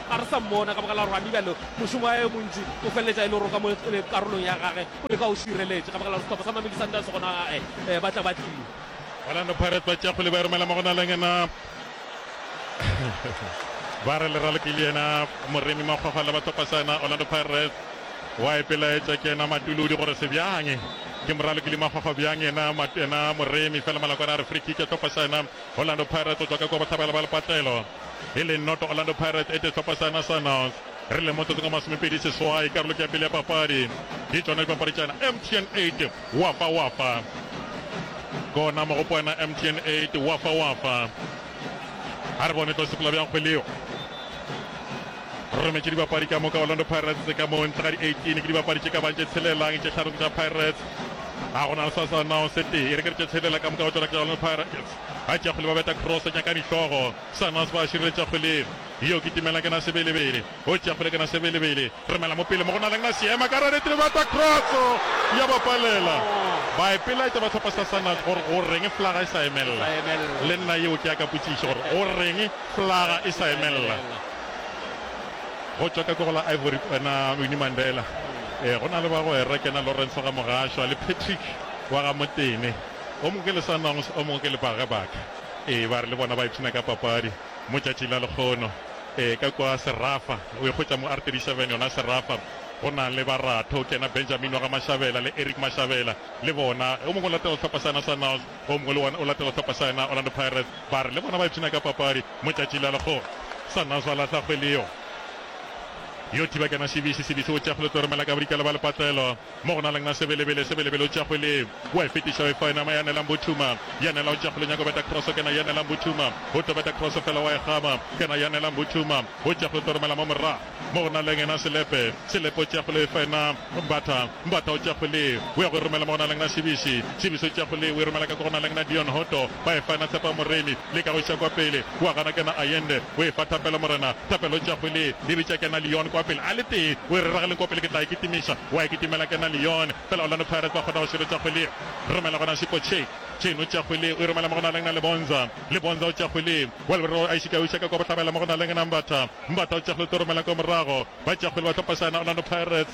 ga re sa mmona ka baka la gore gane bjale mošomo wa yo montši o feleletša e le gore o ka mo karolong ya gage o le ka o šireletše ka baka la gore sehlopha sa Mamelodi Sundowns gona gae eh, ba tla ba tlile Orlando Pirates ba tšea kgole ba romela mo go na leng ena ba re leralo ke le ena moremi makgwakgwa le bathopa sa ena Orlando Pirates wa epelaetša ke ena matulodi gore se bjang ke moralo ke le makgwakgwa bjang ena mat- ena moremi fela malakwana a re free kick ya thopa sa ena Orlando Pirates o tswa ka kwa bohlabela ba lepatlelo e le noto Orlando Pirates ete sehlopha sa Nationals re le motsotsong wa masomepedi seswai karolong ya pele ya papadi ke tšona dipapaditšana MTN 8 wafa wafa kona mogopwana MTN 8 wafa wafa a re bone tlo sepela bjang kgweleo rometše dibapadi ka moka Orlando Pirates ka mo ntle ga di 18 ke dibapadi tše ka bang tše tshelelang tše tlharo tša Pirates a gona le sa sa nao se tee e re ke re tše tshelela ka moka go tšona ke Orlando Pirates A tšea kgole ba beta cross tša ka dihlogo. Sanas ba šireletša kgole yeo ke Timela ke na Sebelebele o tšea kgole ke na Sebelebele romela mo pele mo go na leng na seema ka rareti le beta cross ya ba palela. Ba ipeletša ba hlopha sa Sanas gore go reng flaga e sa emelela. Le nna yeo ke ya ka potšišo gore go reng flaga e sa emelela. Go tšwa ka kego la Ivory na Winnie Mandela. Ee go na le bagwera ke na Lawrence Gamogashoa le Patrick wa ga Motene. O mongwe ke le Sundowns, o mongwe ke le Bareback. Ee, ba re le bona ba ipshina ka papadi mo tšatšing la lekgono. Ee, ka kwa Serafa, o ikgwetša mo R37 yona Serafa, go na le ba Ratho, ke yena Benjamin wa ga Mashabela le Eric Mashabela, le bona. O mongwe o latela sehlopha sa yena Sundowns, o mongwe le wona o latela sehlopha sa yena Orlando Pirates. Ba re le bona ba ipshina ka papadi mo tšatšing la lekgono. Sundowns ba lahla kgwele yeo. Yo thiba ke yena Sibisi, Sibisi o tšea kgwele o tlo romela ka bodikela ba lepatlelo. Mo go na leng a sebelebele, sebelebele o tšea kgwele, o a e fetiša, o e fa yena. Mo ya nelang Buthuma, ya nela o tšea kgwele, nyaka go beta kroso, ke na ya nelang Buthuma, o tlo beta kroso fela, wa e kgama, ke na ya nelang Buthuma, o tšea kgwele, o tlo romela mo morago. Mo go na leng yena Selepe, Selepe o tšea kgwele, o e fa yena Mbatha, Mbatha o tšea kgwele, o ya go e romela mo go na leng na Sibisi, Sibisi o tšea kgwele, o e romela ka ko go na leng na Dion Hotto, ba e fa na Tshepa Moremi le Kagoša kwa pele o a gana ke na Ayende o e fa Thapelo Morena Thapelo tša go le le bitša ke na Leon kwa pele a le tee o e rera ga leng kwa pele ke tla e kitimiša wa e kitimela ke na Leon fela Orlando Pirates ba kgona go širetša go le romela gona Shiko Che Chen o tša go le o e romela mo go na leng na Lebonza Lebonza o tša go le wa leberero a e šika o e šaka kwa bohlabela mo go na leng na Mbatha Mbatha o tša go le tlo romela kwa morago ba tša go le ba tlhopa sana Orlando Pirates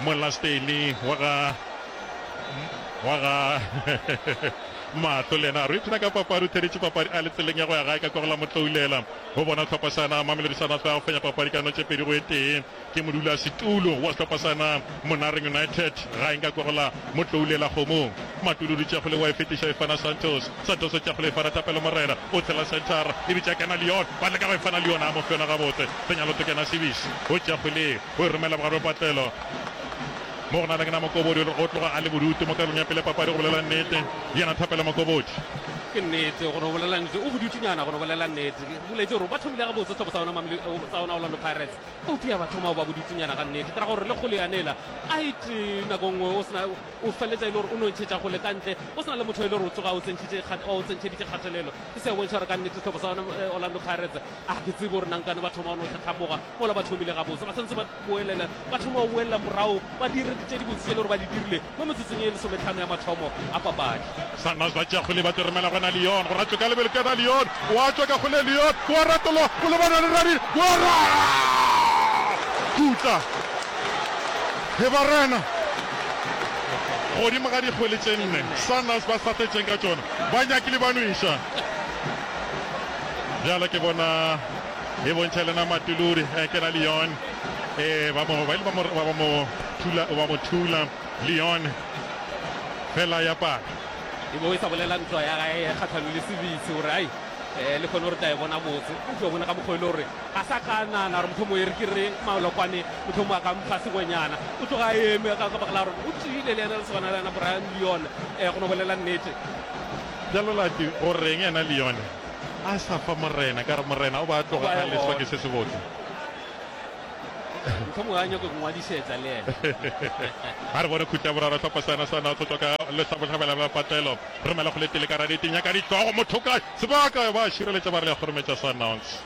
Molasteimi wa ga wa ga Matlo le yena a re ipshina ka papadi, o theeditše papadi a le tseleng ya go ya gae ka kwa go la Motloulela go bona tlhopha sana. Mamelodi Sundowns ba fenya papadi ka notše pedi go e tee ke modulasetulo wa sehlopha sana Monareng United gaeng ka kwa go la Motloulela Kgomong. Matuludi Tšakgole wa e fetiša e fana Santos. Santos Tšakgole e fana Thapelo Morena o tshela centre e bitša Kena Leon ba leka go e fana Leon a mo fela gabotse. Senyalo Tokena Sibisi go Tšakgole. O e romela bogare bja patlelo mo go na leng na Mokobodi o le o tloga a le bodutu mo karolong ya pele ya papadi go bolela nnete yena Thapelo Mokobodi. Ke nnete gore o bolela nnete o bodutunyana gore o bolela nnete ke boletse gore ba thomile gabotse sehlopo sa ona mamle sa ona Orlando Pirates eupša ya ba thoma go ba bodutunyana ga nnete ke ra gore le kgolo yanela a e tee nako nngwe o sena o feletsa e le gore o no ntšhetša gole ka ntle o sena le motho e le gore o tsoga o tsentšhitše o tsentšheditše kgatelelo e se ya bontšha gore ka nnete sehlopo sa ona Orlando Pirates A ke tsebe gore nankane ba thoma go no tlhatlhamoga mola ba thomile gabotse. Ba santse ba boelela, ba thoma go boelela morago, ba dira dilo tše dibotse tše e le gore ba di dirile mo metsotsong ye lesometlhano ya mathomo a papadi. Sundowns ba tšea kgole, ba toromelwa gona Lyon, go ratšwe ka lebelo ke ba Lyon, gwa tšwa ka kgole Lyon, gwa ratolwa go lebana le Rennes, gwa ra khutla he ba Rennes godimo ga dikgole tše nne Sundowns ba sa fetšeng ka tšona, ba nyakile ba no e ša. Bjale ke bona e bontšha le na Matuludi eh, ke la Leon eh, ba mo ba ile ba mo ba mo thula ba mo thula Leon fela ya pala e bo e sa bolela ntwa ya gae kgatlhanong le sebitse gore ai um le kgone gore tla e bona motse o tlo bona ka mokgwa e le gore ga sa ka nana gore motlho mo e re ke re malokwane motlho mo a ka mpha sengwenyana o tloga eme ka ka bakela gore o tsile le ena le swana le ena brian leone um go no bolela nnete Bjalo Lucky, go reng yena Leone a sa fa Morena? Ka re Morena o be a tloga a leswa ke se sebotse. Mohlomongwe a nyake go ngwadisetsa le yena. A re bone khuti ya boraro hlopha sa yona sa North go tšwa ka lehlabohlabela la patlelo. Romela go le tele ka ra dite nyaka ditlogo motho kae sebaka ba šireletša ba re le a kgorometša Sundowns.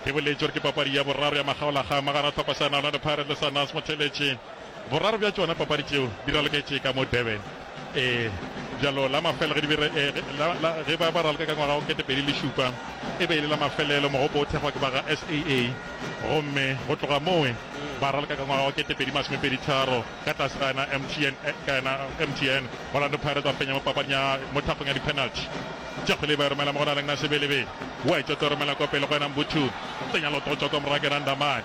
Ke boletše gore ke papadi ya boraro ya makgaolakgang magara hlopha sa yona Orlando Pirates le Sundowns Motheletši. Boraro bja tšona papadi tšeo di raloketše ka mo Durban. Ee, bjalo la mafela ge di be re, eh, la, la, ge ba ba raloka ka ngwaga wa ketepedi le šupa, e be e le la mafelelo mogopo o thekgwa ke ba ga SAA. Gomme go tloga mowe ba raloka ka ngwaga wa ketepedi masomepedi tharo ka tlase ga yena MTN, eh, ka yena MTN. Orlando Pirates ba fenya mo papading ya, mo thapong ya di-penalty. Tšakgwele ba e romela mo go Naleng Nasebelebe. Wetsho tlo romela kwa pele go yena Mbuthu. Tsenya lototšwa kwa morago ke yena Ndamane.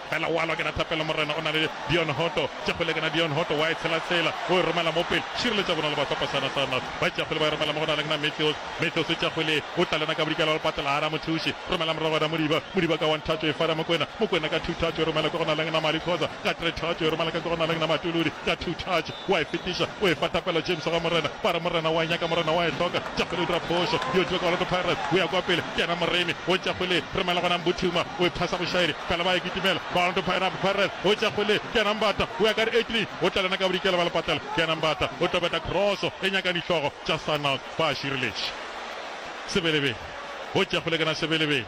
Fela wa lwa ke na thapelo morena o na le Dion Hoto tša kgole ke na Dion Hoto wa e tshela tshela o e romela mo pele šireletša bona le ba Sopo Sana Sana ba tšea kgole ba e romela mo go na le ke na Mathews Mathews tša kgole o tla lena ka bodikela le patela a ra mothuši romela morago ra Modiba Modiba ka one thatšo e fara Mokwena Mokwena ka two thatšo e romela ke go na le ke na Mali Khoza ka three thatšo e romela ka ke go na le ke na Matuludi ka two thatšo O a e fetiša, o efa thapelo James ga Morena, ba re, Morena o a e nyaka, Morena o a e hloka. Tšakgwele o dira phošo, yo tlile ka Orlando Pirates, o ya kwa pele, ke yena moremi. O Tšakgwele, romela gona Mbuthuma, o e phasa bošaedi, fela ba e kitimela. Ba Orlando Pirates, Pirates, o Tšakgwele, ke yena Mbata, o ya ka re Edlin, o tla le yena ka bodikela ba lepatlela, ke yena Mbata, o tlo beta kroso e nyakang dihlogo tša Sundowns, ba šireletše Sebelebele. O Tšakgwele ke na Sebelebele.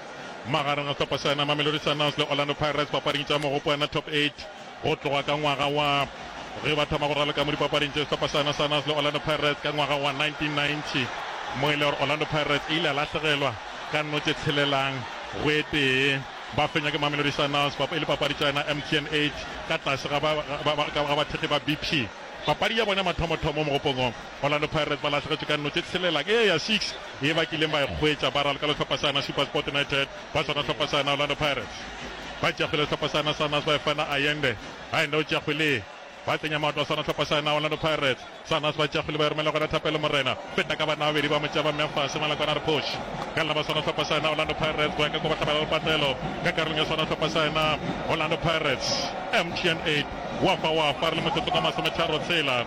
Magareng a sehlopha sena, Mamelodi Sundowns le Orlando Pirates dipapading tša mogopoana Top Eight go tloga ka ngwaga wa ge ba thoma go raloka mo dipapading tše, sehlopha sena Sundowns le Orlando Pirates ka ngwaga wa 1990 mo e le gore Orlando Pirates e ile ya lahlegelwa ka nno tše tshelelang go e tee ba fenywa ke Mamelodi Sundowns e le papadi tša yona MTN 8 ka tlase ga bathekgi ba BP papadi ya bona ya mathomothomo mo mogopong o. Orlando Pirates ba lahlegetšwe ka nno tše tshelela ke ye ya six ye ba kileng ba e hwetša ba ralokela hlopha sa yona SuperSport United ba swana hlopha sa yona Orlando Pirates ba tšea kgwele hlopha sa yona Sanas ba e fa yona Ayende Ayende o tšea kgwele ba tsenya maoto a swana hlopha sa yona Orlando Pirates Sanas ba tšea kgwele ba e romela gona Thapelo Morena feta ka banna babedi ba mo tšea ba mmea fase ngwana kwana re phoš ka lena ba swana hlopha sa yona Orlando Pirates go ya ka kwa ba hlabela lepatlelo ka karolong ya swana hlopha sa yona Orlando Pirates MTN 8 wa fa wa fa re le motsotso ka masometharo tshela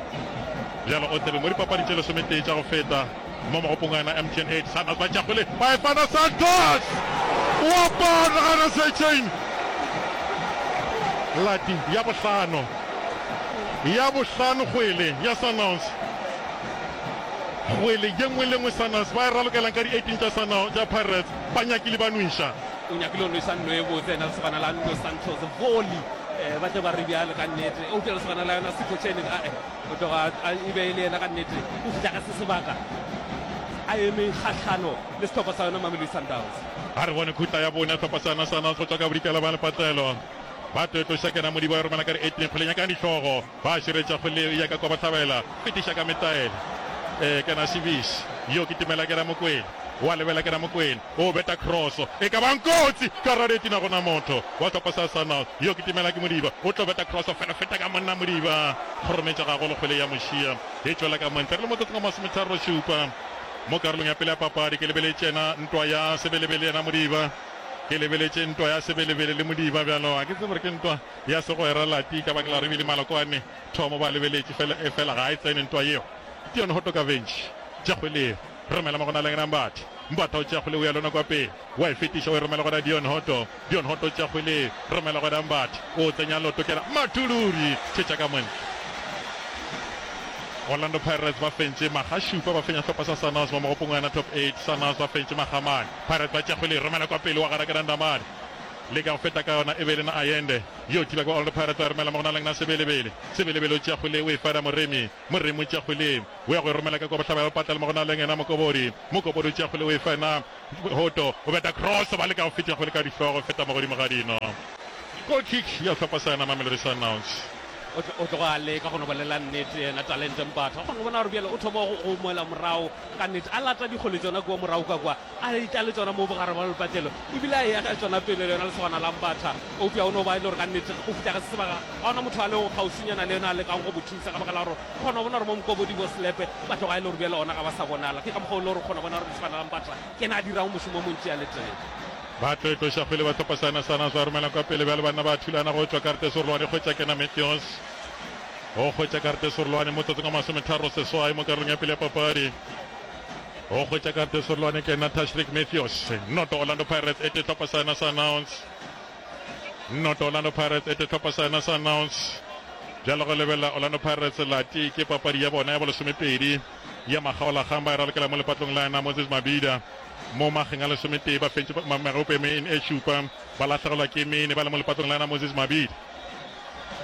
Bjalo o tlabe mo dipapadi tše lesometee tša go feta mo magopong a na. MTN 8, Sundowns ba tšakgole ba e fana Santos! O a pala a na Secheng! Lati ya bohlano, ya bohlano kgwele ya Sundowns. Kgwele ye nngwe le nngwe Sundowns ba e ralokelang ka di 18 tša Sundowns, tša Pirates ba nyakile ba nwša. O nyakile go nwša nno e botse na lesogana la nno Santos. Volley, ba tle ba re bjalo ka nnete. Eupša lesogana la yona Secheng, ae. Go tloga a e be e le yena ka nnete o fihla ka se sebaka a eme kgahlano le sehlopha sa yona Mamelodi Sundowns. Ba re bone khutla ya bone ya sehlopha sa yona Sundowns go tšwa ka bodikela bja lepatlelo. Ba toetoša kena Modiba ya romela ka re eting kgole nyakang dihlogo. Ba širetša kgole yeo e ya ka kwa Bohlabela e tiša ka metaele. Ee kena Sibish yo ke timela kena Mokwena wa lebela kena Mokwena O beta kroso e ka bang kotsi ka Radetina gona motho wa hlopha sa Arsenal yo ke Timelaki Modiba o tlo beta kroso fela feta ka monna Modiba kgorometša gagolo kgwele ya mošia e tšwela ka montle re le motsotsong wa masometharo šupa mo karolong ya pele ya papadi ke lebeletšena ntwa ya sebelebele yena Modiba ke lebeletše ntwa ya sebelebele le Modiba bjalo ga ke tsebe gore ke ntwa ya segwera lati ka baka la re bile malokwane thomo ba lebeletše fela e fela ga e tsene ntwa yeo Dion Hotoka Ventši Jakgweleng Romela mo go na leng Nambatha. Mbatha o tšea kgwele o ya lona kwa pele. Wa e fetiša o e romela go na Dion Hoto. Dion Hoto o tšea kgwele e romela go Nambatha. O tsenya Lotokela Matuluri. Thetša ka montle. Orlando Pirates ba fentše maga šupa ba fenya hlopha sa Sanos mo mogopong wa yona top 8. Sanos ba fentše maga mane. Pirates ba tšea kgwele e romela kwa pele wa gara ke na Ndamane. Leka go feta ka yona e be e le na Ayende yo thiba kwa Orlando Pirates ba e romela mo go na leng na Sebelebele. Sebelebele o tšea kgwele o e fada Moremi. Moremi o tšea kgwele, o ya go e romela ka kwa bohlaba ya bopatla le mo go na leng yena Mokobori. Mokobori o tšea kgwele, o e fa yena Hoto. O beta cross, ba leka go fetša kgwele ka dihlogo, e feta mo godimo ga dino. Goal kick ya sehlopha sa yena Mamelodi Sundowns. O tlo, o tloga a leka go no bolela nnete yena Talente Mbatha. O kgona go bona gore bjale o thoma go, go moela morago ka nnete. A lata dikgole tšona kua morago ka kwa. A tla le tšona moo bogare bja lepatlelo e bile a eya ka tšona pele le yona lesogana la Mbatha. Eupša go no ba e le gore ka nnete go fihla ga se sebaka ga go na motho a lego kgauswinyana le yena a lekago go mo thusa ka baka la gore o kgona go bona gore mo Mokobodi bo Selepe ba tloga e le gore bjale gona ga ba sa bonala. Ke ka mokgwa wo e le gore o kgona go bona gore lesogana la Mbatha ke yena a dirago mošomo o montši a le tee. Ba tlo itloša kgwele Batlhopha Sanas Sanas ba romelang kwa pele bjale banna ba thulana go tšwa karete serolwane kgwetša Kena Mathews o kgwetša karete serolwane motsotsong wa masometharo seswai mo karolong ya pele ya papadi. Go hwetša ka tesorolwane ke na Tashreeq Mathews. Noto Orlando Pirates e tetlhopa sa yona sa announce. Noto Orlando Pirates e tetlhopa sa yona sa announce. Bjalo go lebelela Orlando Pirates lati ke papadi ya bona ya bolesomepedi ya makgaolakgang ba e ralokela mo lepatlong la yena Moses Mabhida mo mageng a lesometee ba fentše magope me in e šupa ba lahlegelwa ke mene ba le mo lepatlong la yena Moses Mabhida.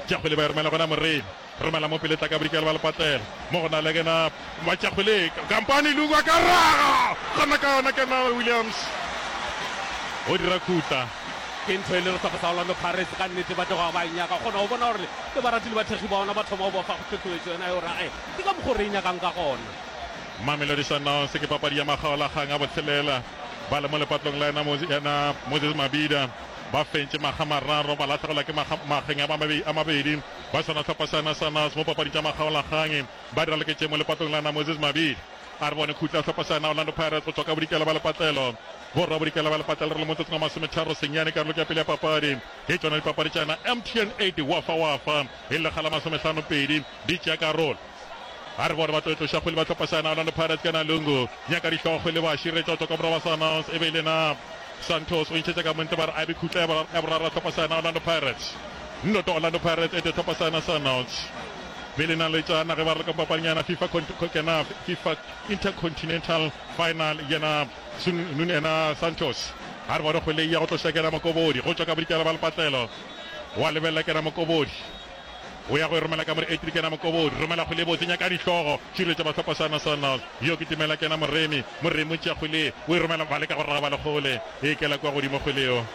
Jakgwele ba e romela gona Morena. Romela mo pele tla ka bodikela ba lepatlela mo go na le kena ba tša kgwele kampane Luku a ka raga gona ka yona kena Williams o dira khutla ke ntho e le re sa go sa Orlando Pirates ka nnete ba tloga ba e nyaka kgona go bona gore le baratili ba thekgi ba ona ba thoma go bofa go thotloetso yona yo ra e ke ka mokgwa re e nyakang ka gona Mamelodi Sundowns ke papadi ya makgaolakgang a botshelela ba le mo lepatlong la ena Moses Mabida ba fentše makga mararo ba lahlegelwa ke makgeng a mabedi ba sa na hlopha sa Nasanas mo papadi tša makgaolakgang. Ba dira leketše mo lepatong la na Moses Mabidi a re bone khutla hlopha sa na Orlando Pirates go tšwa ka bodikela ba lepatlelo. Borra bodikela ba lepatlelo re le motsotsong wa masometharo senyane karolong ya pele ya papadi. Ke tšona dipapadi tša na MTN 80 Wafa Wafa e lle kgala masomehlano pedi di tšea karolo. A re bona ba tlo etloša kgwele batlhopasana Orlando Pirates ka Nalungu nyaka dihlogo kgwele ba šire tšoto ka morago ba sa announce e be e le na Santos o ntšhetša ka montle ba re a be khutla ya boraro ya tlhopasana Orlando Pirates nnoto Orlando Pirates ete tlhopasana sa announce be le na le tšana ge ba re ka papanyana FIFA kena FIFA Intercontinental final yena Sun Nun ena Santos a re bona kgwele ya go tloša kena Mokobodi go tšwa ka bodikela ba lepatlelo wa lebelela kena Mokobodi O ya go e romela ka more etri kena mokobodi romela kgwele botse nyaka dihlogo širetša bahlopha sana sana yo ke timela kena moremi moremi o tšea kgwele o e romela ba leka go raba lekgole e kela kwa godimo kgweleo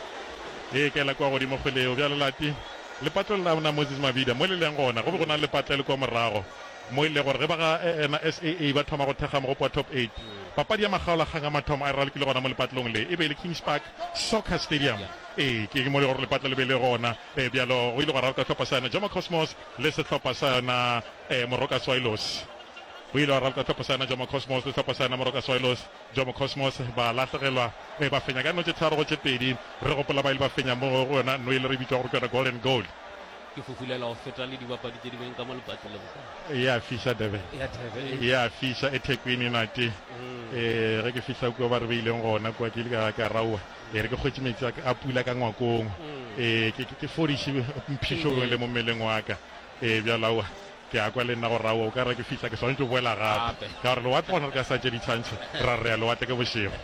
e kela kwa godimo kgweleo bjale lati lepatlo la mna Moses Mabida mo le leng gona go be go na le lepatlo le kwa morago mo e le gore ge ba ga ena SAA ba thoma go thekga mogopo wa top 8 papadi ya makgaola kgang a mathomo a e ralokile gona mo lepatlong le e be e le Kings Park Soccer Stadium ee ke mo le gore lepatlo le be le gona Ee, bjalo go ile gwa rarka hlopha sa yona Jomo Cosmos le sehlopha sa yona eh, Moroka Swailos. Go ile gwa rarka hlopha sa yona Jomo Cosmos le hlopha sa yona Moroka Swailos. Jomo Cosmos ba lahlegelwa, eh, ba fenya ka notše tharo go tše pedi. Re gopola ba ile ba fenya mo go yona no ile re bitšwa gore ke yona Golden Goal. Ke fufulelwa go feta le dibapadi tše dingwe ka mo lepatlelong ka. E a fiša Durban, Ya Durban. e a fiša eThekwini nate. Eh, ge ke fihla kua ba re beileng gona kua ke ile ka, ka raua. E re ke kgwetše metsi a, a pula ka ngwakong, e ke, ke, ke fodiše mphišo le mo mmeleng wa ka. E bjalo, aowa, ke a kwa le nna gore aowa, o ka re ke fihla ke swanetše go boela gape, ka gore lewatle gona re ka sa tše ditshwantšho ra re re ya lewatle ke bošego.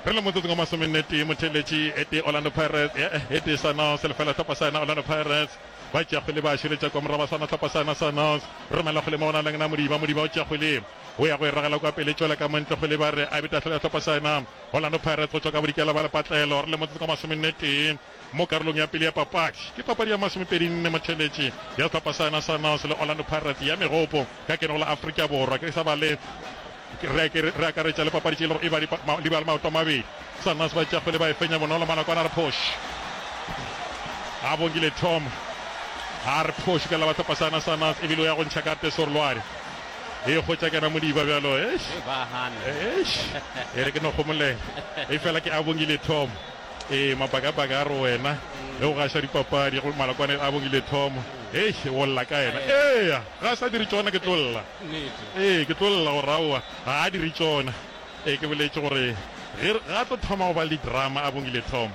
Re le motsotsong wa masomennetee, motheeletši e tee Orlando Pirates, e, e tee Sunhouse le lefela hlopha sa yona Orlando Pirates. Ba tšea kgwele ba šoletša kwa moraba sona hlopha sa yona Sunhouse. Romela kgwele mo go na le yena Modiba, Modiba o tšea kgwele o ya go e ragela kwa pele tšwela ka mo ntle, kgwele ba re a be tahlolo ya hlopha sa yona. Orlando Pirates go tšwa ka Bodikela ba Lepatlelo re le motsotso ka masomennetee mo karolong ya pele ya papadi. Ke papadi ya masomepedinne mo theletše ya sehlopha sa yona sa Naos le Orlando Pirates ya Megopo ka keno la Afrika Borwa ke sa ba le re akaretša le papadi tše e lego e ba di ba le maoto a mabedi. Sa Naos ba tšakgwele ba e fenya bonolo malako a na re phoši a bongile Tom a re phoši ka la ba sehlopha sa yona sa Naos ebile o ya go ntšha karte Sorloari. e go tša kana modiba bjalo eish e ba hana eish e re ke no gomolela e fela ke a bongile thomo e mabaka baka a re wena ge o gaša dipapadi go malakwane a bongile thomo eish o lla ka yena eya ga sa dire tšona ke tlolla ee ke tlolla go rawa ga a dire tšona e ke boletše gore ge ga tlo thoma go ba le drama a bongile thomo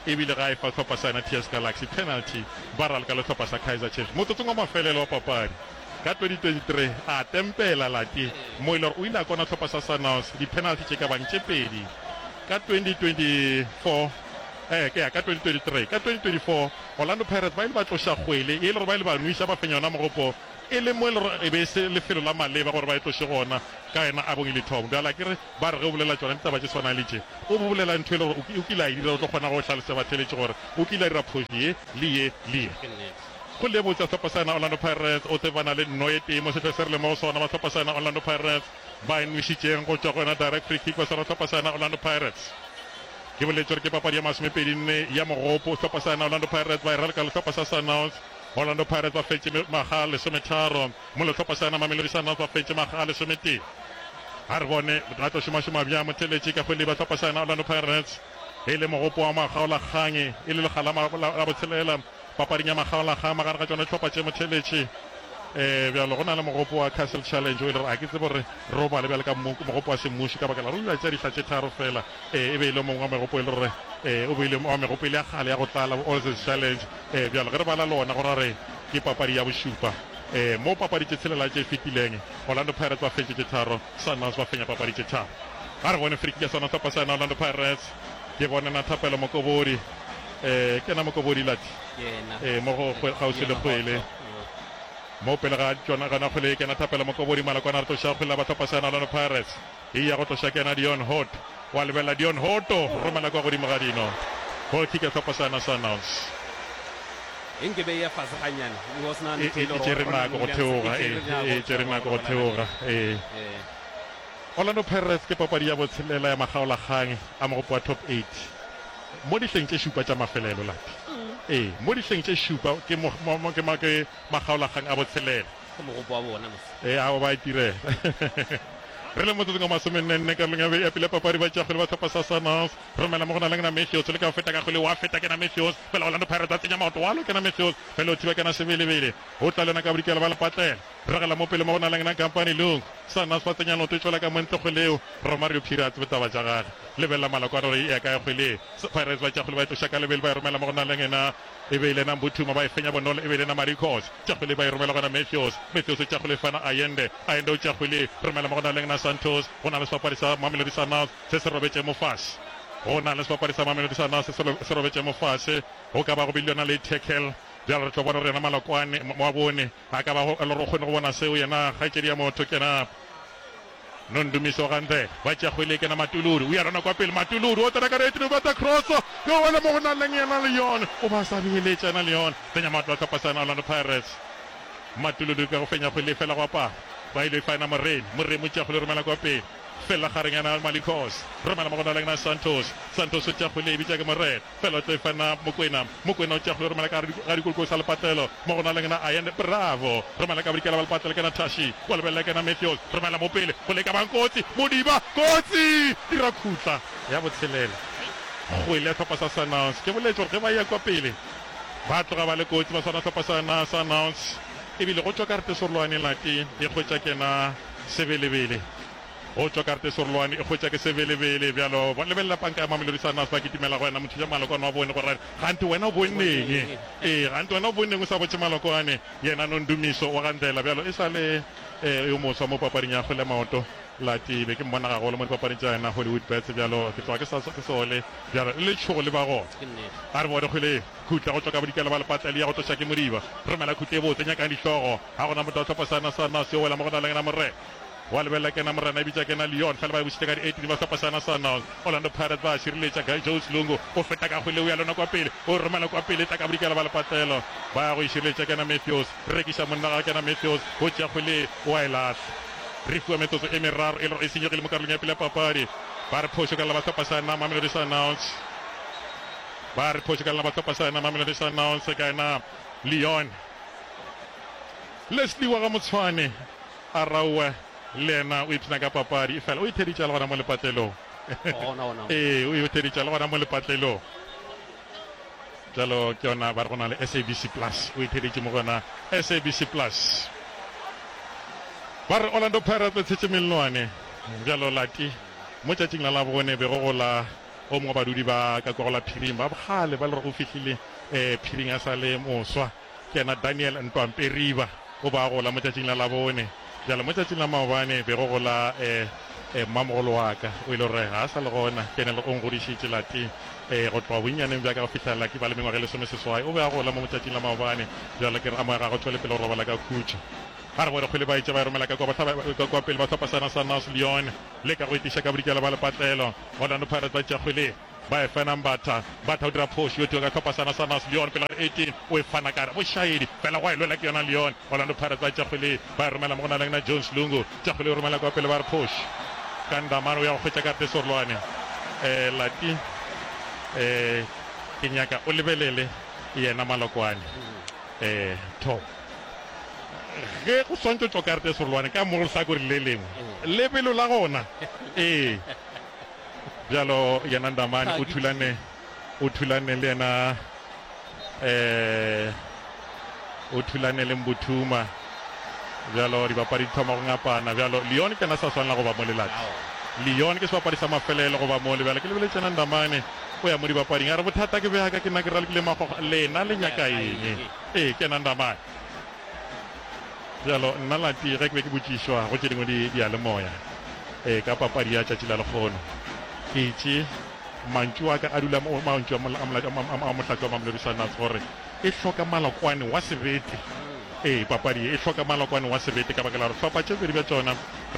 e bile ga e fa tlhopha sa yena ts galaxy penalty ba ralka le tlhopha sa kaizer chiefs motsotsong wa mafelelo wa papadi Ka 2023, a tempela Lati Moiler o ile a kona hlopha sa Sunhouse dipenalty tše ka bang tše pedi. Ka 2024, ee, ke ya ka 2023, ka 2024, Orlando Pirates ba ile ba tloša kgwele ye e le gore ba ile ba nwiša ba fenya yona mogopo e le mo e le gore e be e se lefelo la maleba gore ba e tloše gona ka yona abong e le thong. Bjale akere ba re ge o bolela tšona ditaba tše swanang le tše o bo bolela ntho e le gore o kile a e dira o tlo kgona go hlalosela batheeletši gore o kile a dira phošo ye le ye le ye. Go lebotša Hlophasana Orlando Pirates o tsebana le nno e tee mo sehla se re leng mo go sona. Ba Hlophasana Orlando Pirates ba e nwešitšeng go tšwa go yona direct free kick ba swara Hlophasana Orlando Pirates. Ke boletše gore ke papadi ya masomepedi nne ya mogopo. Hlophasana Orlando Pirates ba e ralka le sehlopha sa Sundowns. Orlando Pirates ba fetše makga a lesometharo mola Hlophasana Mamelodi Sundowns ba fetše makga a lesometee. A re bone a tlo šomašoma bjang motheletši ka go leba Hlophasana Orlando Pirates e le mogopo wa makgaolakgang e le lekga la botshelela. Papading ya magaolaga magareng ga tšona dihlopha tše motheletše e bjalo go na le mogopo wa Castle Challenge o ile re a ke tsebe gore re o bale bjale ka mogopo wa semmuši ka baka la rula tša dihla tše tharo fela e e be ile mongwe wa megopo e le gore e o beile wa megopo ile ya gale ya go tlala Oz's Challenge e bjalo ge re bala lona go ra re ke papadi ya bošupa e mo papadi tše tshelela tše fetileng Orlando Pirates ba fetše tše tharo Sunwells ba fenya papadi tše tharo. A re bone free kick ya sona sehlopha sa yona Orlando Pirates. Ke bone na Thapelo Mokobodi, ee, ke yena Mokobodi Lati, ee, mo go kgauswi le kgwele mo pele ga tšona gona kgwele ye. Ke yena Thapelo Mokobodi Malakwana a re tloša kgwele la ba sehlopha sa yona Orlando Pirates, eya go tloša ke yena Dion Hot. Wa lebelela Dion Hooto romela kwa godimo ga dino. Goal kick ya Tlhokošana Sundowns. Eng ke be ya fase ga nyane. It was not E e tšere nako go theoga, e e tšere nako go theoga. Ee. Orlando Pirates ke papadi ya botshelela ya makgaolakgang a mogopo wa Top Eight mo dihleng tše šupa tša mafelelo, Lappy. Ee, mo dihleng tše šupa ke mo, mo, mo, ke ma, ke makgaolakgang a botshelela. Ke mogopo wa bona mos. Ee, ao ba a itirela. Re le motsotsong wa masomennenne karolong ya be ya pele ya papadi, ba tšea kgwele ba tlhopa sa Sanons. Romela mo go na leng na Matthews, leka go feta ka kgwele, wa feta kena Matthews, fela Orlando Pirates a tsenya maoto, wa lo kena Matthews, fela o thiba kena Sebelebele, o tla le yona ka bodikela ba lepatlela. Ragela mo pele mo go na leng na Kampane Lung. Sanons ba tsenya noto e tšwela ka montle kgwele eo, Romario Pirates botaba tša gage. Lebelela maloko a raro e ya kae kgwele eo. Pirates ba tšea kgwele ba e tloša ka lebelo ba e romela mo go na leng na E be e le na Mbuthuma ba e fenya bonolo, e be e le na Marikos. Tšakgwili ba e romela go na Mefios. Mefios o tšakgwili fa na Ayende. Ayende o tšakgwili romela mo go na leng na Santos. Go na le sebapadi sa Mamelodi Sundowns se se robetše mo fase. Go na le sebapadi sa Mamelodi Sundowns se se se robetše mo fase. Go ka ba go bile yona le tackle. Bjale re tlo bona gore yena Malokwane, Mabone, a ka ba go le gore o kgone go bona seo yena kgaetšedi ya motho ke na. Nondumiso Ganthe ba tšea kgwele e kena Matuluri, o ya rana kwa pele, Matuluri o tsena ka rate mme o betha cross yo wela mo go nang leng yena Leon o ba sa beeletša yena Leon fenya matlo a sehlopha sa yena Orlando Pirates. Matuluri ka go fenya kgwele e fela go apara ba ile fa yena Moremi, Moremi o tšea kgwele o romela kwa pele fela gareng yena Malikos romela mo go nang leng yena Santos, Santos o tšea kgwele e bitša ke Morena. Felo tlo ifana Mokwena Mokwena o tšeago yo romela ka ga dikoloko sa lepatlelo mo go na leng na Ayende Bravo romela ka bodikela ba lepatlelo kena Thashi wa lebelele kena Matthews romela mo pele go leka bang kotsi Modiba kotsi dira khutla ya botshelela kgwele ya hlopha sa Sundowns ke boletše gore ge ba ya kwa pele ba tloga ba le kotsi ba swana hlopha sa na Sundowns ebile go tšwa ka re tesorolwane lati e kgwetša kena Sebelebele Go tšwa karate serolwane e hwetša ke sebelebele bjalo ba lebelela panka ya Mamelodi Sundowns ba kitimela go yena Mothiša Malokwane wa bone go ra gante wena o bonneng ee gante wena o bonneng o sa botše Malokwane yena no Ndumiso wa ga Ndlela bjalo e sa le ee yo moswa mo papading ya kgwele ya maoto Lati be ke mmona gagolo mo dipapading tša yena Hollywood Bets bjalo ke tloga ke sa ke sole bjalo le letšhogo le ba gona a re bone kgwele khutla go tšwa ka bodikela ba lepatla le ya go tloša ke moriba romela khutla e botse nyakang dihlogo ga gona motho wa tlhopha sana Sundowns yo wela mo go na le yena morena Wa lebelela kena morena e bitša kena Leon fela ba e bošitše ka di 18 ba fepha Sana Sundowns Orlando Pirates ba a šireletša Guy Jones Lungu o feta ka kgwele o ya lona kwa pele o e romela kwa pele e tla ka bodikela ba lepatlelo ba ya go e šireletša kena Matthews rekiša monna ga kena Matthews o tšea kgwele o a e lahla re fiwa metsotso e meraro e le gore e senyegile mo karolong ya pele ya papadi ba re phošo ka lena ba hlopha sa ena Mamelodi Sundowns ba re phošo ka lena ba hlopha sa ena Mamelodi Sundowns ka ena Leon Leslie wa ga Motshwane Arauwa le yena o ipshina ka papadi, efela o e theditša le gona mo lepatlelong. Ee, o e o theditša le gona mo lepatlelong. Bjalo ke yona ba re go na le SABC Plus, o e theditše mo go yona SABC Plus. Ba re Orlando Pirates le tshetše mellwane bjalo lati mo tšatšing la Labone be go go la o mongwe wa badudi ba ka kwa go la phiring ba bogale ba le gore o fihlile phiring a sa le moswa. Kena Daniel Ntwamperiba o be a gola mo tšatšing la Labone, bjale mo tšatšing la maobane be go gola eh, mmamogolo wa ka. O ile gore ga a sa le gona, Kenel o ngodišitše lati eh, go tloga bonnyaneng bja ka go fihlelela ke ba le mengwaga e lesomeseswai. O be a gola mo mo tšatšing la maobane, bjale ke re a moya ga go tšwele pele go robala ka khutšo. Ga re bone kgwele ba etša ba e romela ka kwa, ba kwa pele ba hlopha sena sa North Lyon le ka go etiša ka bodikela ba lepatlelo. Orlando Pirates ba tšea kgwele. ba e fena Mbatha Mbatha o dira phoši yo tio ka tlhopha sana sa Nas Leon pele ga 18 o e fana kare bošaedi fela go a e lwela ke yona Leon Orlando Pirates ba Tšakgwele ba e romela mo go na leng na Jones Lungu Tšakgwele o romela kwa pele ba re phoši ka Ndamane o ya go hwetša karte Sorlwane eh Lati eh ke nyaka o lebelele yena Malokwane eh tho ge go swantšotšwa karte Sorlwane ka mo go sa kore le lengwe lebelo la gona eh Bjalo yena Ndamane o thulane o thulane le yena eh o thulane le Mbuthuma bjalo dibapadi di thoma go ngapana bjalo Leon ke yena sa swanela go ba mo lelati Leon ke sebapadi sa mafelelo go ba mo le bjalo ke lebeletse yena Ndamane o ya mo dibapading a re bothata ke bjaka ke nna ke ralokile magoga lena le nyaka eng ee ke yena Ndamane Bjalo, nna Lati, ge ke be ke botšišwa go tše dingwe di, diyalemoya, e, ka papadi ya tšatši la lekgono, ke itše, mantšu a ka a dula, mo, mantšu a, mo, a, mo, a, a, a Mohlatse wa Mamelodi Sundowns, gore e hloka malokwane wa sebete. E, papadi ye e hloka malokwane wa sebete, ka baka la gore hlopha tše pedi bja tšona,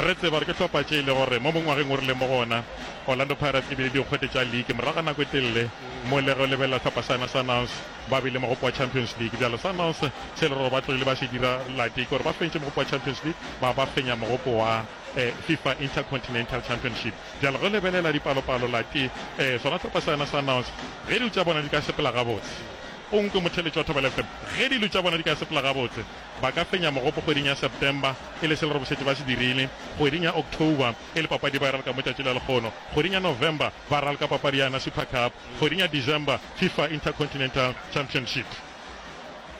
re tseba gore ke hlopha tše e le gore mo, mo ngwageng o rileng mo go ona, Orlando Pirates e bile dikgwete tša league morago ga nako e telele, mo le ge o lebelela hlopha sa yona Sundowns, ba be le mogopo wa Champions League. Bjalo Sundowns se leroro ba tlogile ba se dira late ke gore ba fentše mogopo wa Champions League ba ba fenya mogopo wa Fifa Intercontinental Championship. Bjalo ge o lebelela dipalopalo late sona sehlopha sa yona Sundowns ge dilo tša bona di ka sepela gabotse, o nkwe motheletši wa Thobela FM, ge dilo tša bona di ka sepela gabotse ba ka fenya mogopo kgweding ya September e le se leroro šetše ba se dirile, kgweding ya October e le papadi ba e ralka mo tšatši la lekgono, kgweding ya November ba ralka papadi ya yona Super Cup. Kgweding ya December, Fifa Intercontinental Championship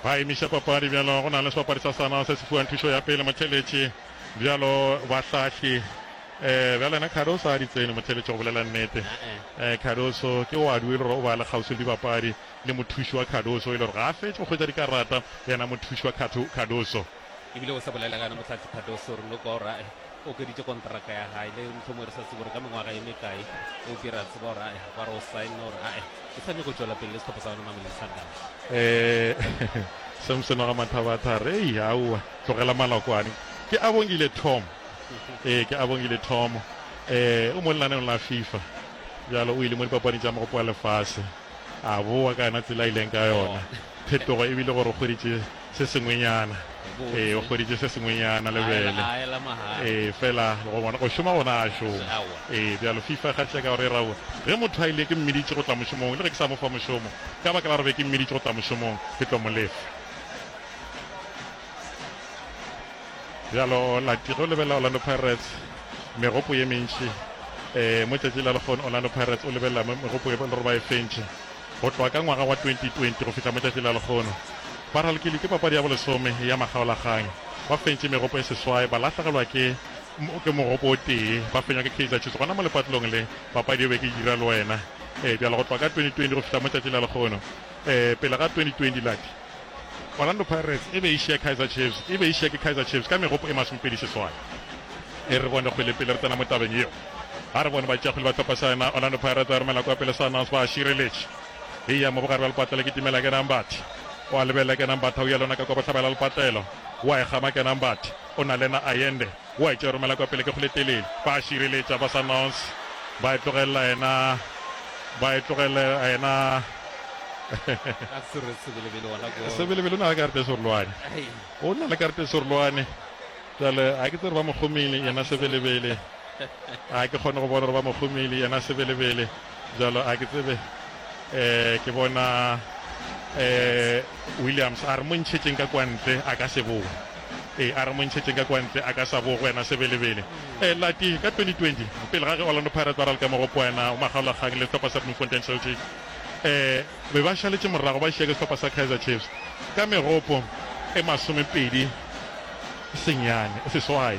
ba emiša papadi bjalo go na le sebapadi sa Sanaa se se fiwang thušo ya pele, Motheletši, bjalo bahlahli eh, bjalo yena Cardoso a di tsene, Motheletši, go bolela nnete eh, Cardoso ke oadu e le gore o ba le kgauswi le dibapadi le mothuši wa Cardoso e le gore ga a fetše go hwetša dikarata yena mothuši wa Cardoso. e bile o sa bolela gana motlhatsi Cardoso re no gore ae o keditše kontraka ya gae le ntlhomo re sa tsebo gore ka mengwaga e mekae o bira tseba gore ae ba re o sign gore ae o sa nyako tšwela pele le setlhopho sa gona mamelodi sundowns um samson wa ga mathabathare ei aowa tlogela malokwane ke a bongile tom ee ke a bongile tom um o mo lenaneng la fifa bjalo o ile mo dipapadi tša mogopo wa lefase a bowa ka yona tsela a ileng ka yona phetogo e bile gore o kgweditše se sengwenyana ee o hweditše se sengwenyana lebele ee fela go bona go šoma gona a šoma ee bjalo fifa ga tšeka gore e raone ge motho a ile ke mmeditše go tla mošomong le ge ke sa mo fa mošomo ka baka la gore be ke mmeditše go tla mošomong ke tlo mo lefa bjalo latiro lebelela orlando pirates megopo ye mentši um mo tšatši la lekgono orlando pirates o lebelela megopo e le gore ba e fentšhe Go tloga ka ngwaga wa 2020 go fihla mo tšatši la lekgono, ba ralokilwe ke papadi ya bolesome ya makgaolakgang, ba fentše megopo e seswai, ba lahlegelwa ke ke mogopo o tee, ba fenywa ke Kaizer Chiefs. Gona mo lepatlelong le, papadi e be ke Dira le Wena. Ee, bjale go tloga ka 2020 go fihla mo tšatši la lekgono, ee, pele ga 2020 lati, Orlando Pirates e be e šiya Kaizer Chiefs e be e šiya ke Kaizer Chiefs ka megopo e masomepedi seswai. E re bone kgwele pele re tsena mo tabeng yeo. A re bone ba tšea kgwele ba thopa saena Orlando Pirates a romela kwa pele Sundowns ba šireletše. E ya mo bogare bja lepatla le kitimela Kenang Bathe. O a lebelela Kenang Bathe a uya le yona ka kwa bohlabela lepatlelo. O a e kgama Kenang Bathe. O na le yena Ayende. O a etšwa romela kwa pele ke go le telele. Ba a šireletša ba sa nons ba e tlogelela yena ba e tlogele yena Sebelebele o na le karete e serolwane o na le karete e serolwane jale a ke tsere ba mogomele yena Sebelebele a ke kgone go bona gore ba mogomele yena Sebelebele Bjalo a ke tsebe eh ke bona eh Williams a re mo ntšhetšeng ka kwantle a ka se bowe e a re mo ntšhetšeng ka kwantle a ka sa bowe go wena sebelebele e lati ka 2020 pele ga ge Orlando Pirates ba ralka mo go poena o magaola kgang le sehlopha sa Bloemfontein Celtic eh be ba šaletše morago ba šieke sehlopha sa Kaizer Chiefs ka megopo e masomepedi senyane seswai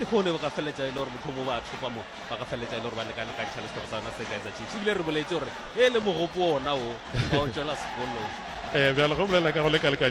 Lehono ba ka feleletša e le gore mohlomong ba thopa mo ba ka feleletša e le gore ba lekalekantšha le sehlopha sa yona se kaizer chiefs ebile re boletse gore e le mogopo ona o ba o tšwela sekolong um bjale ge o bolela ka go lekalekantšha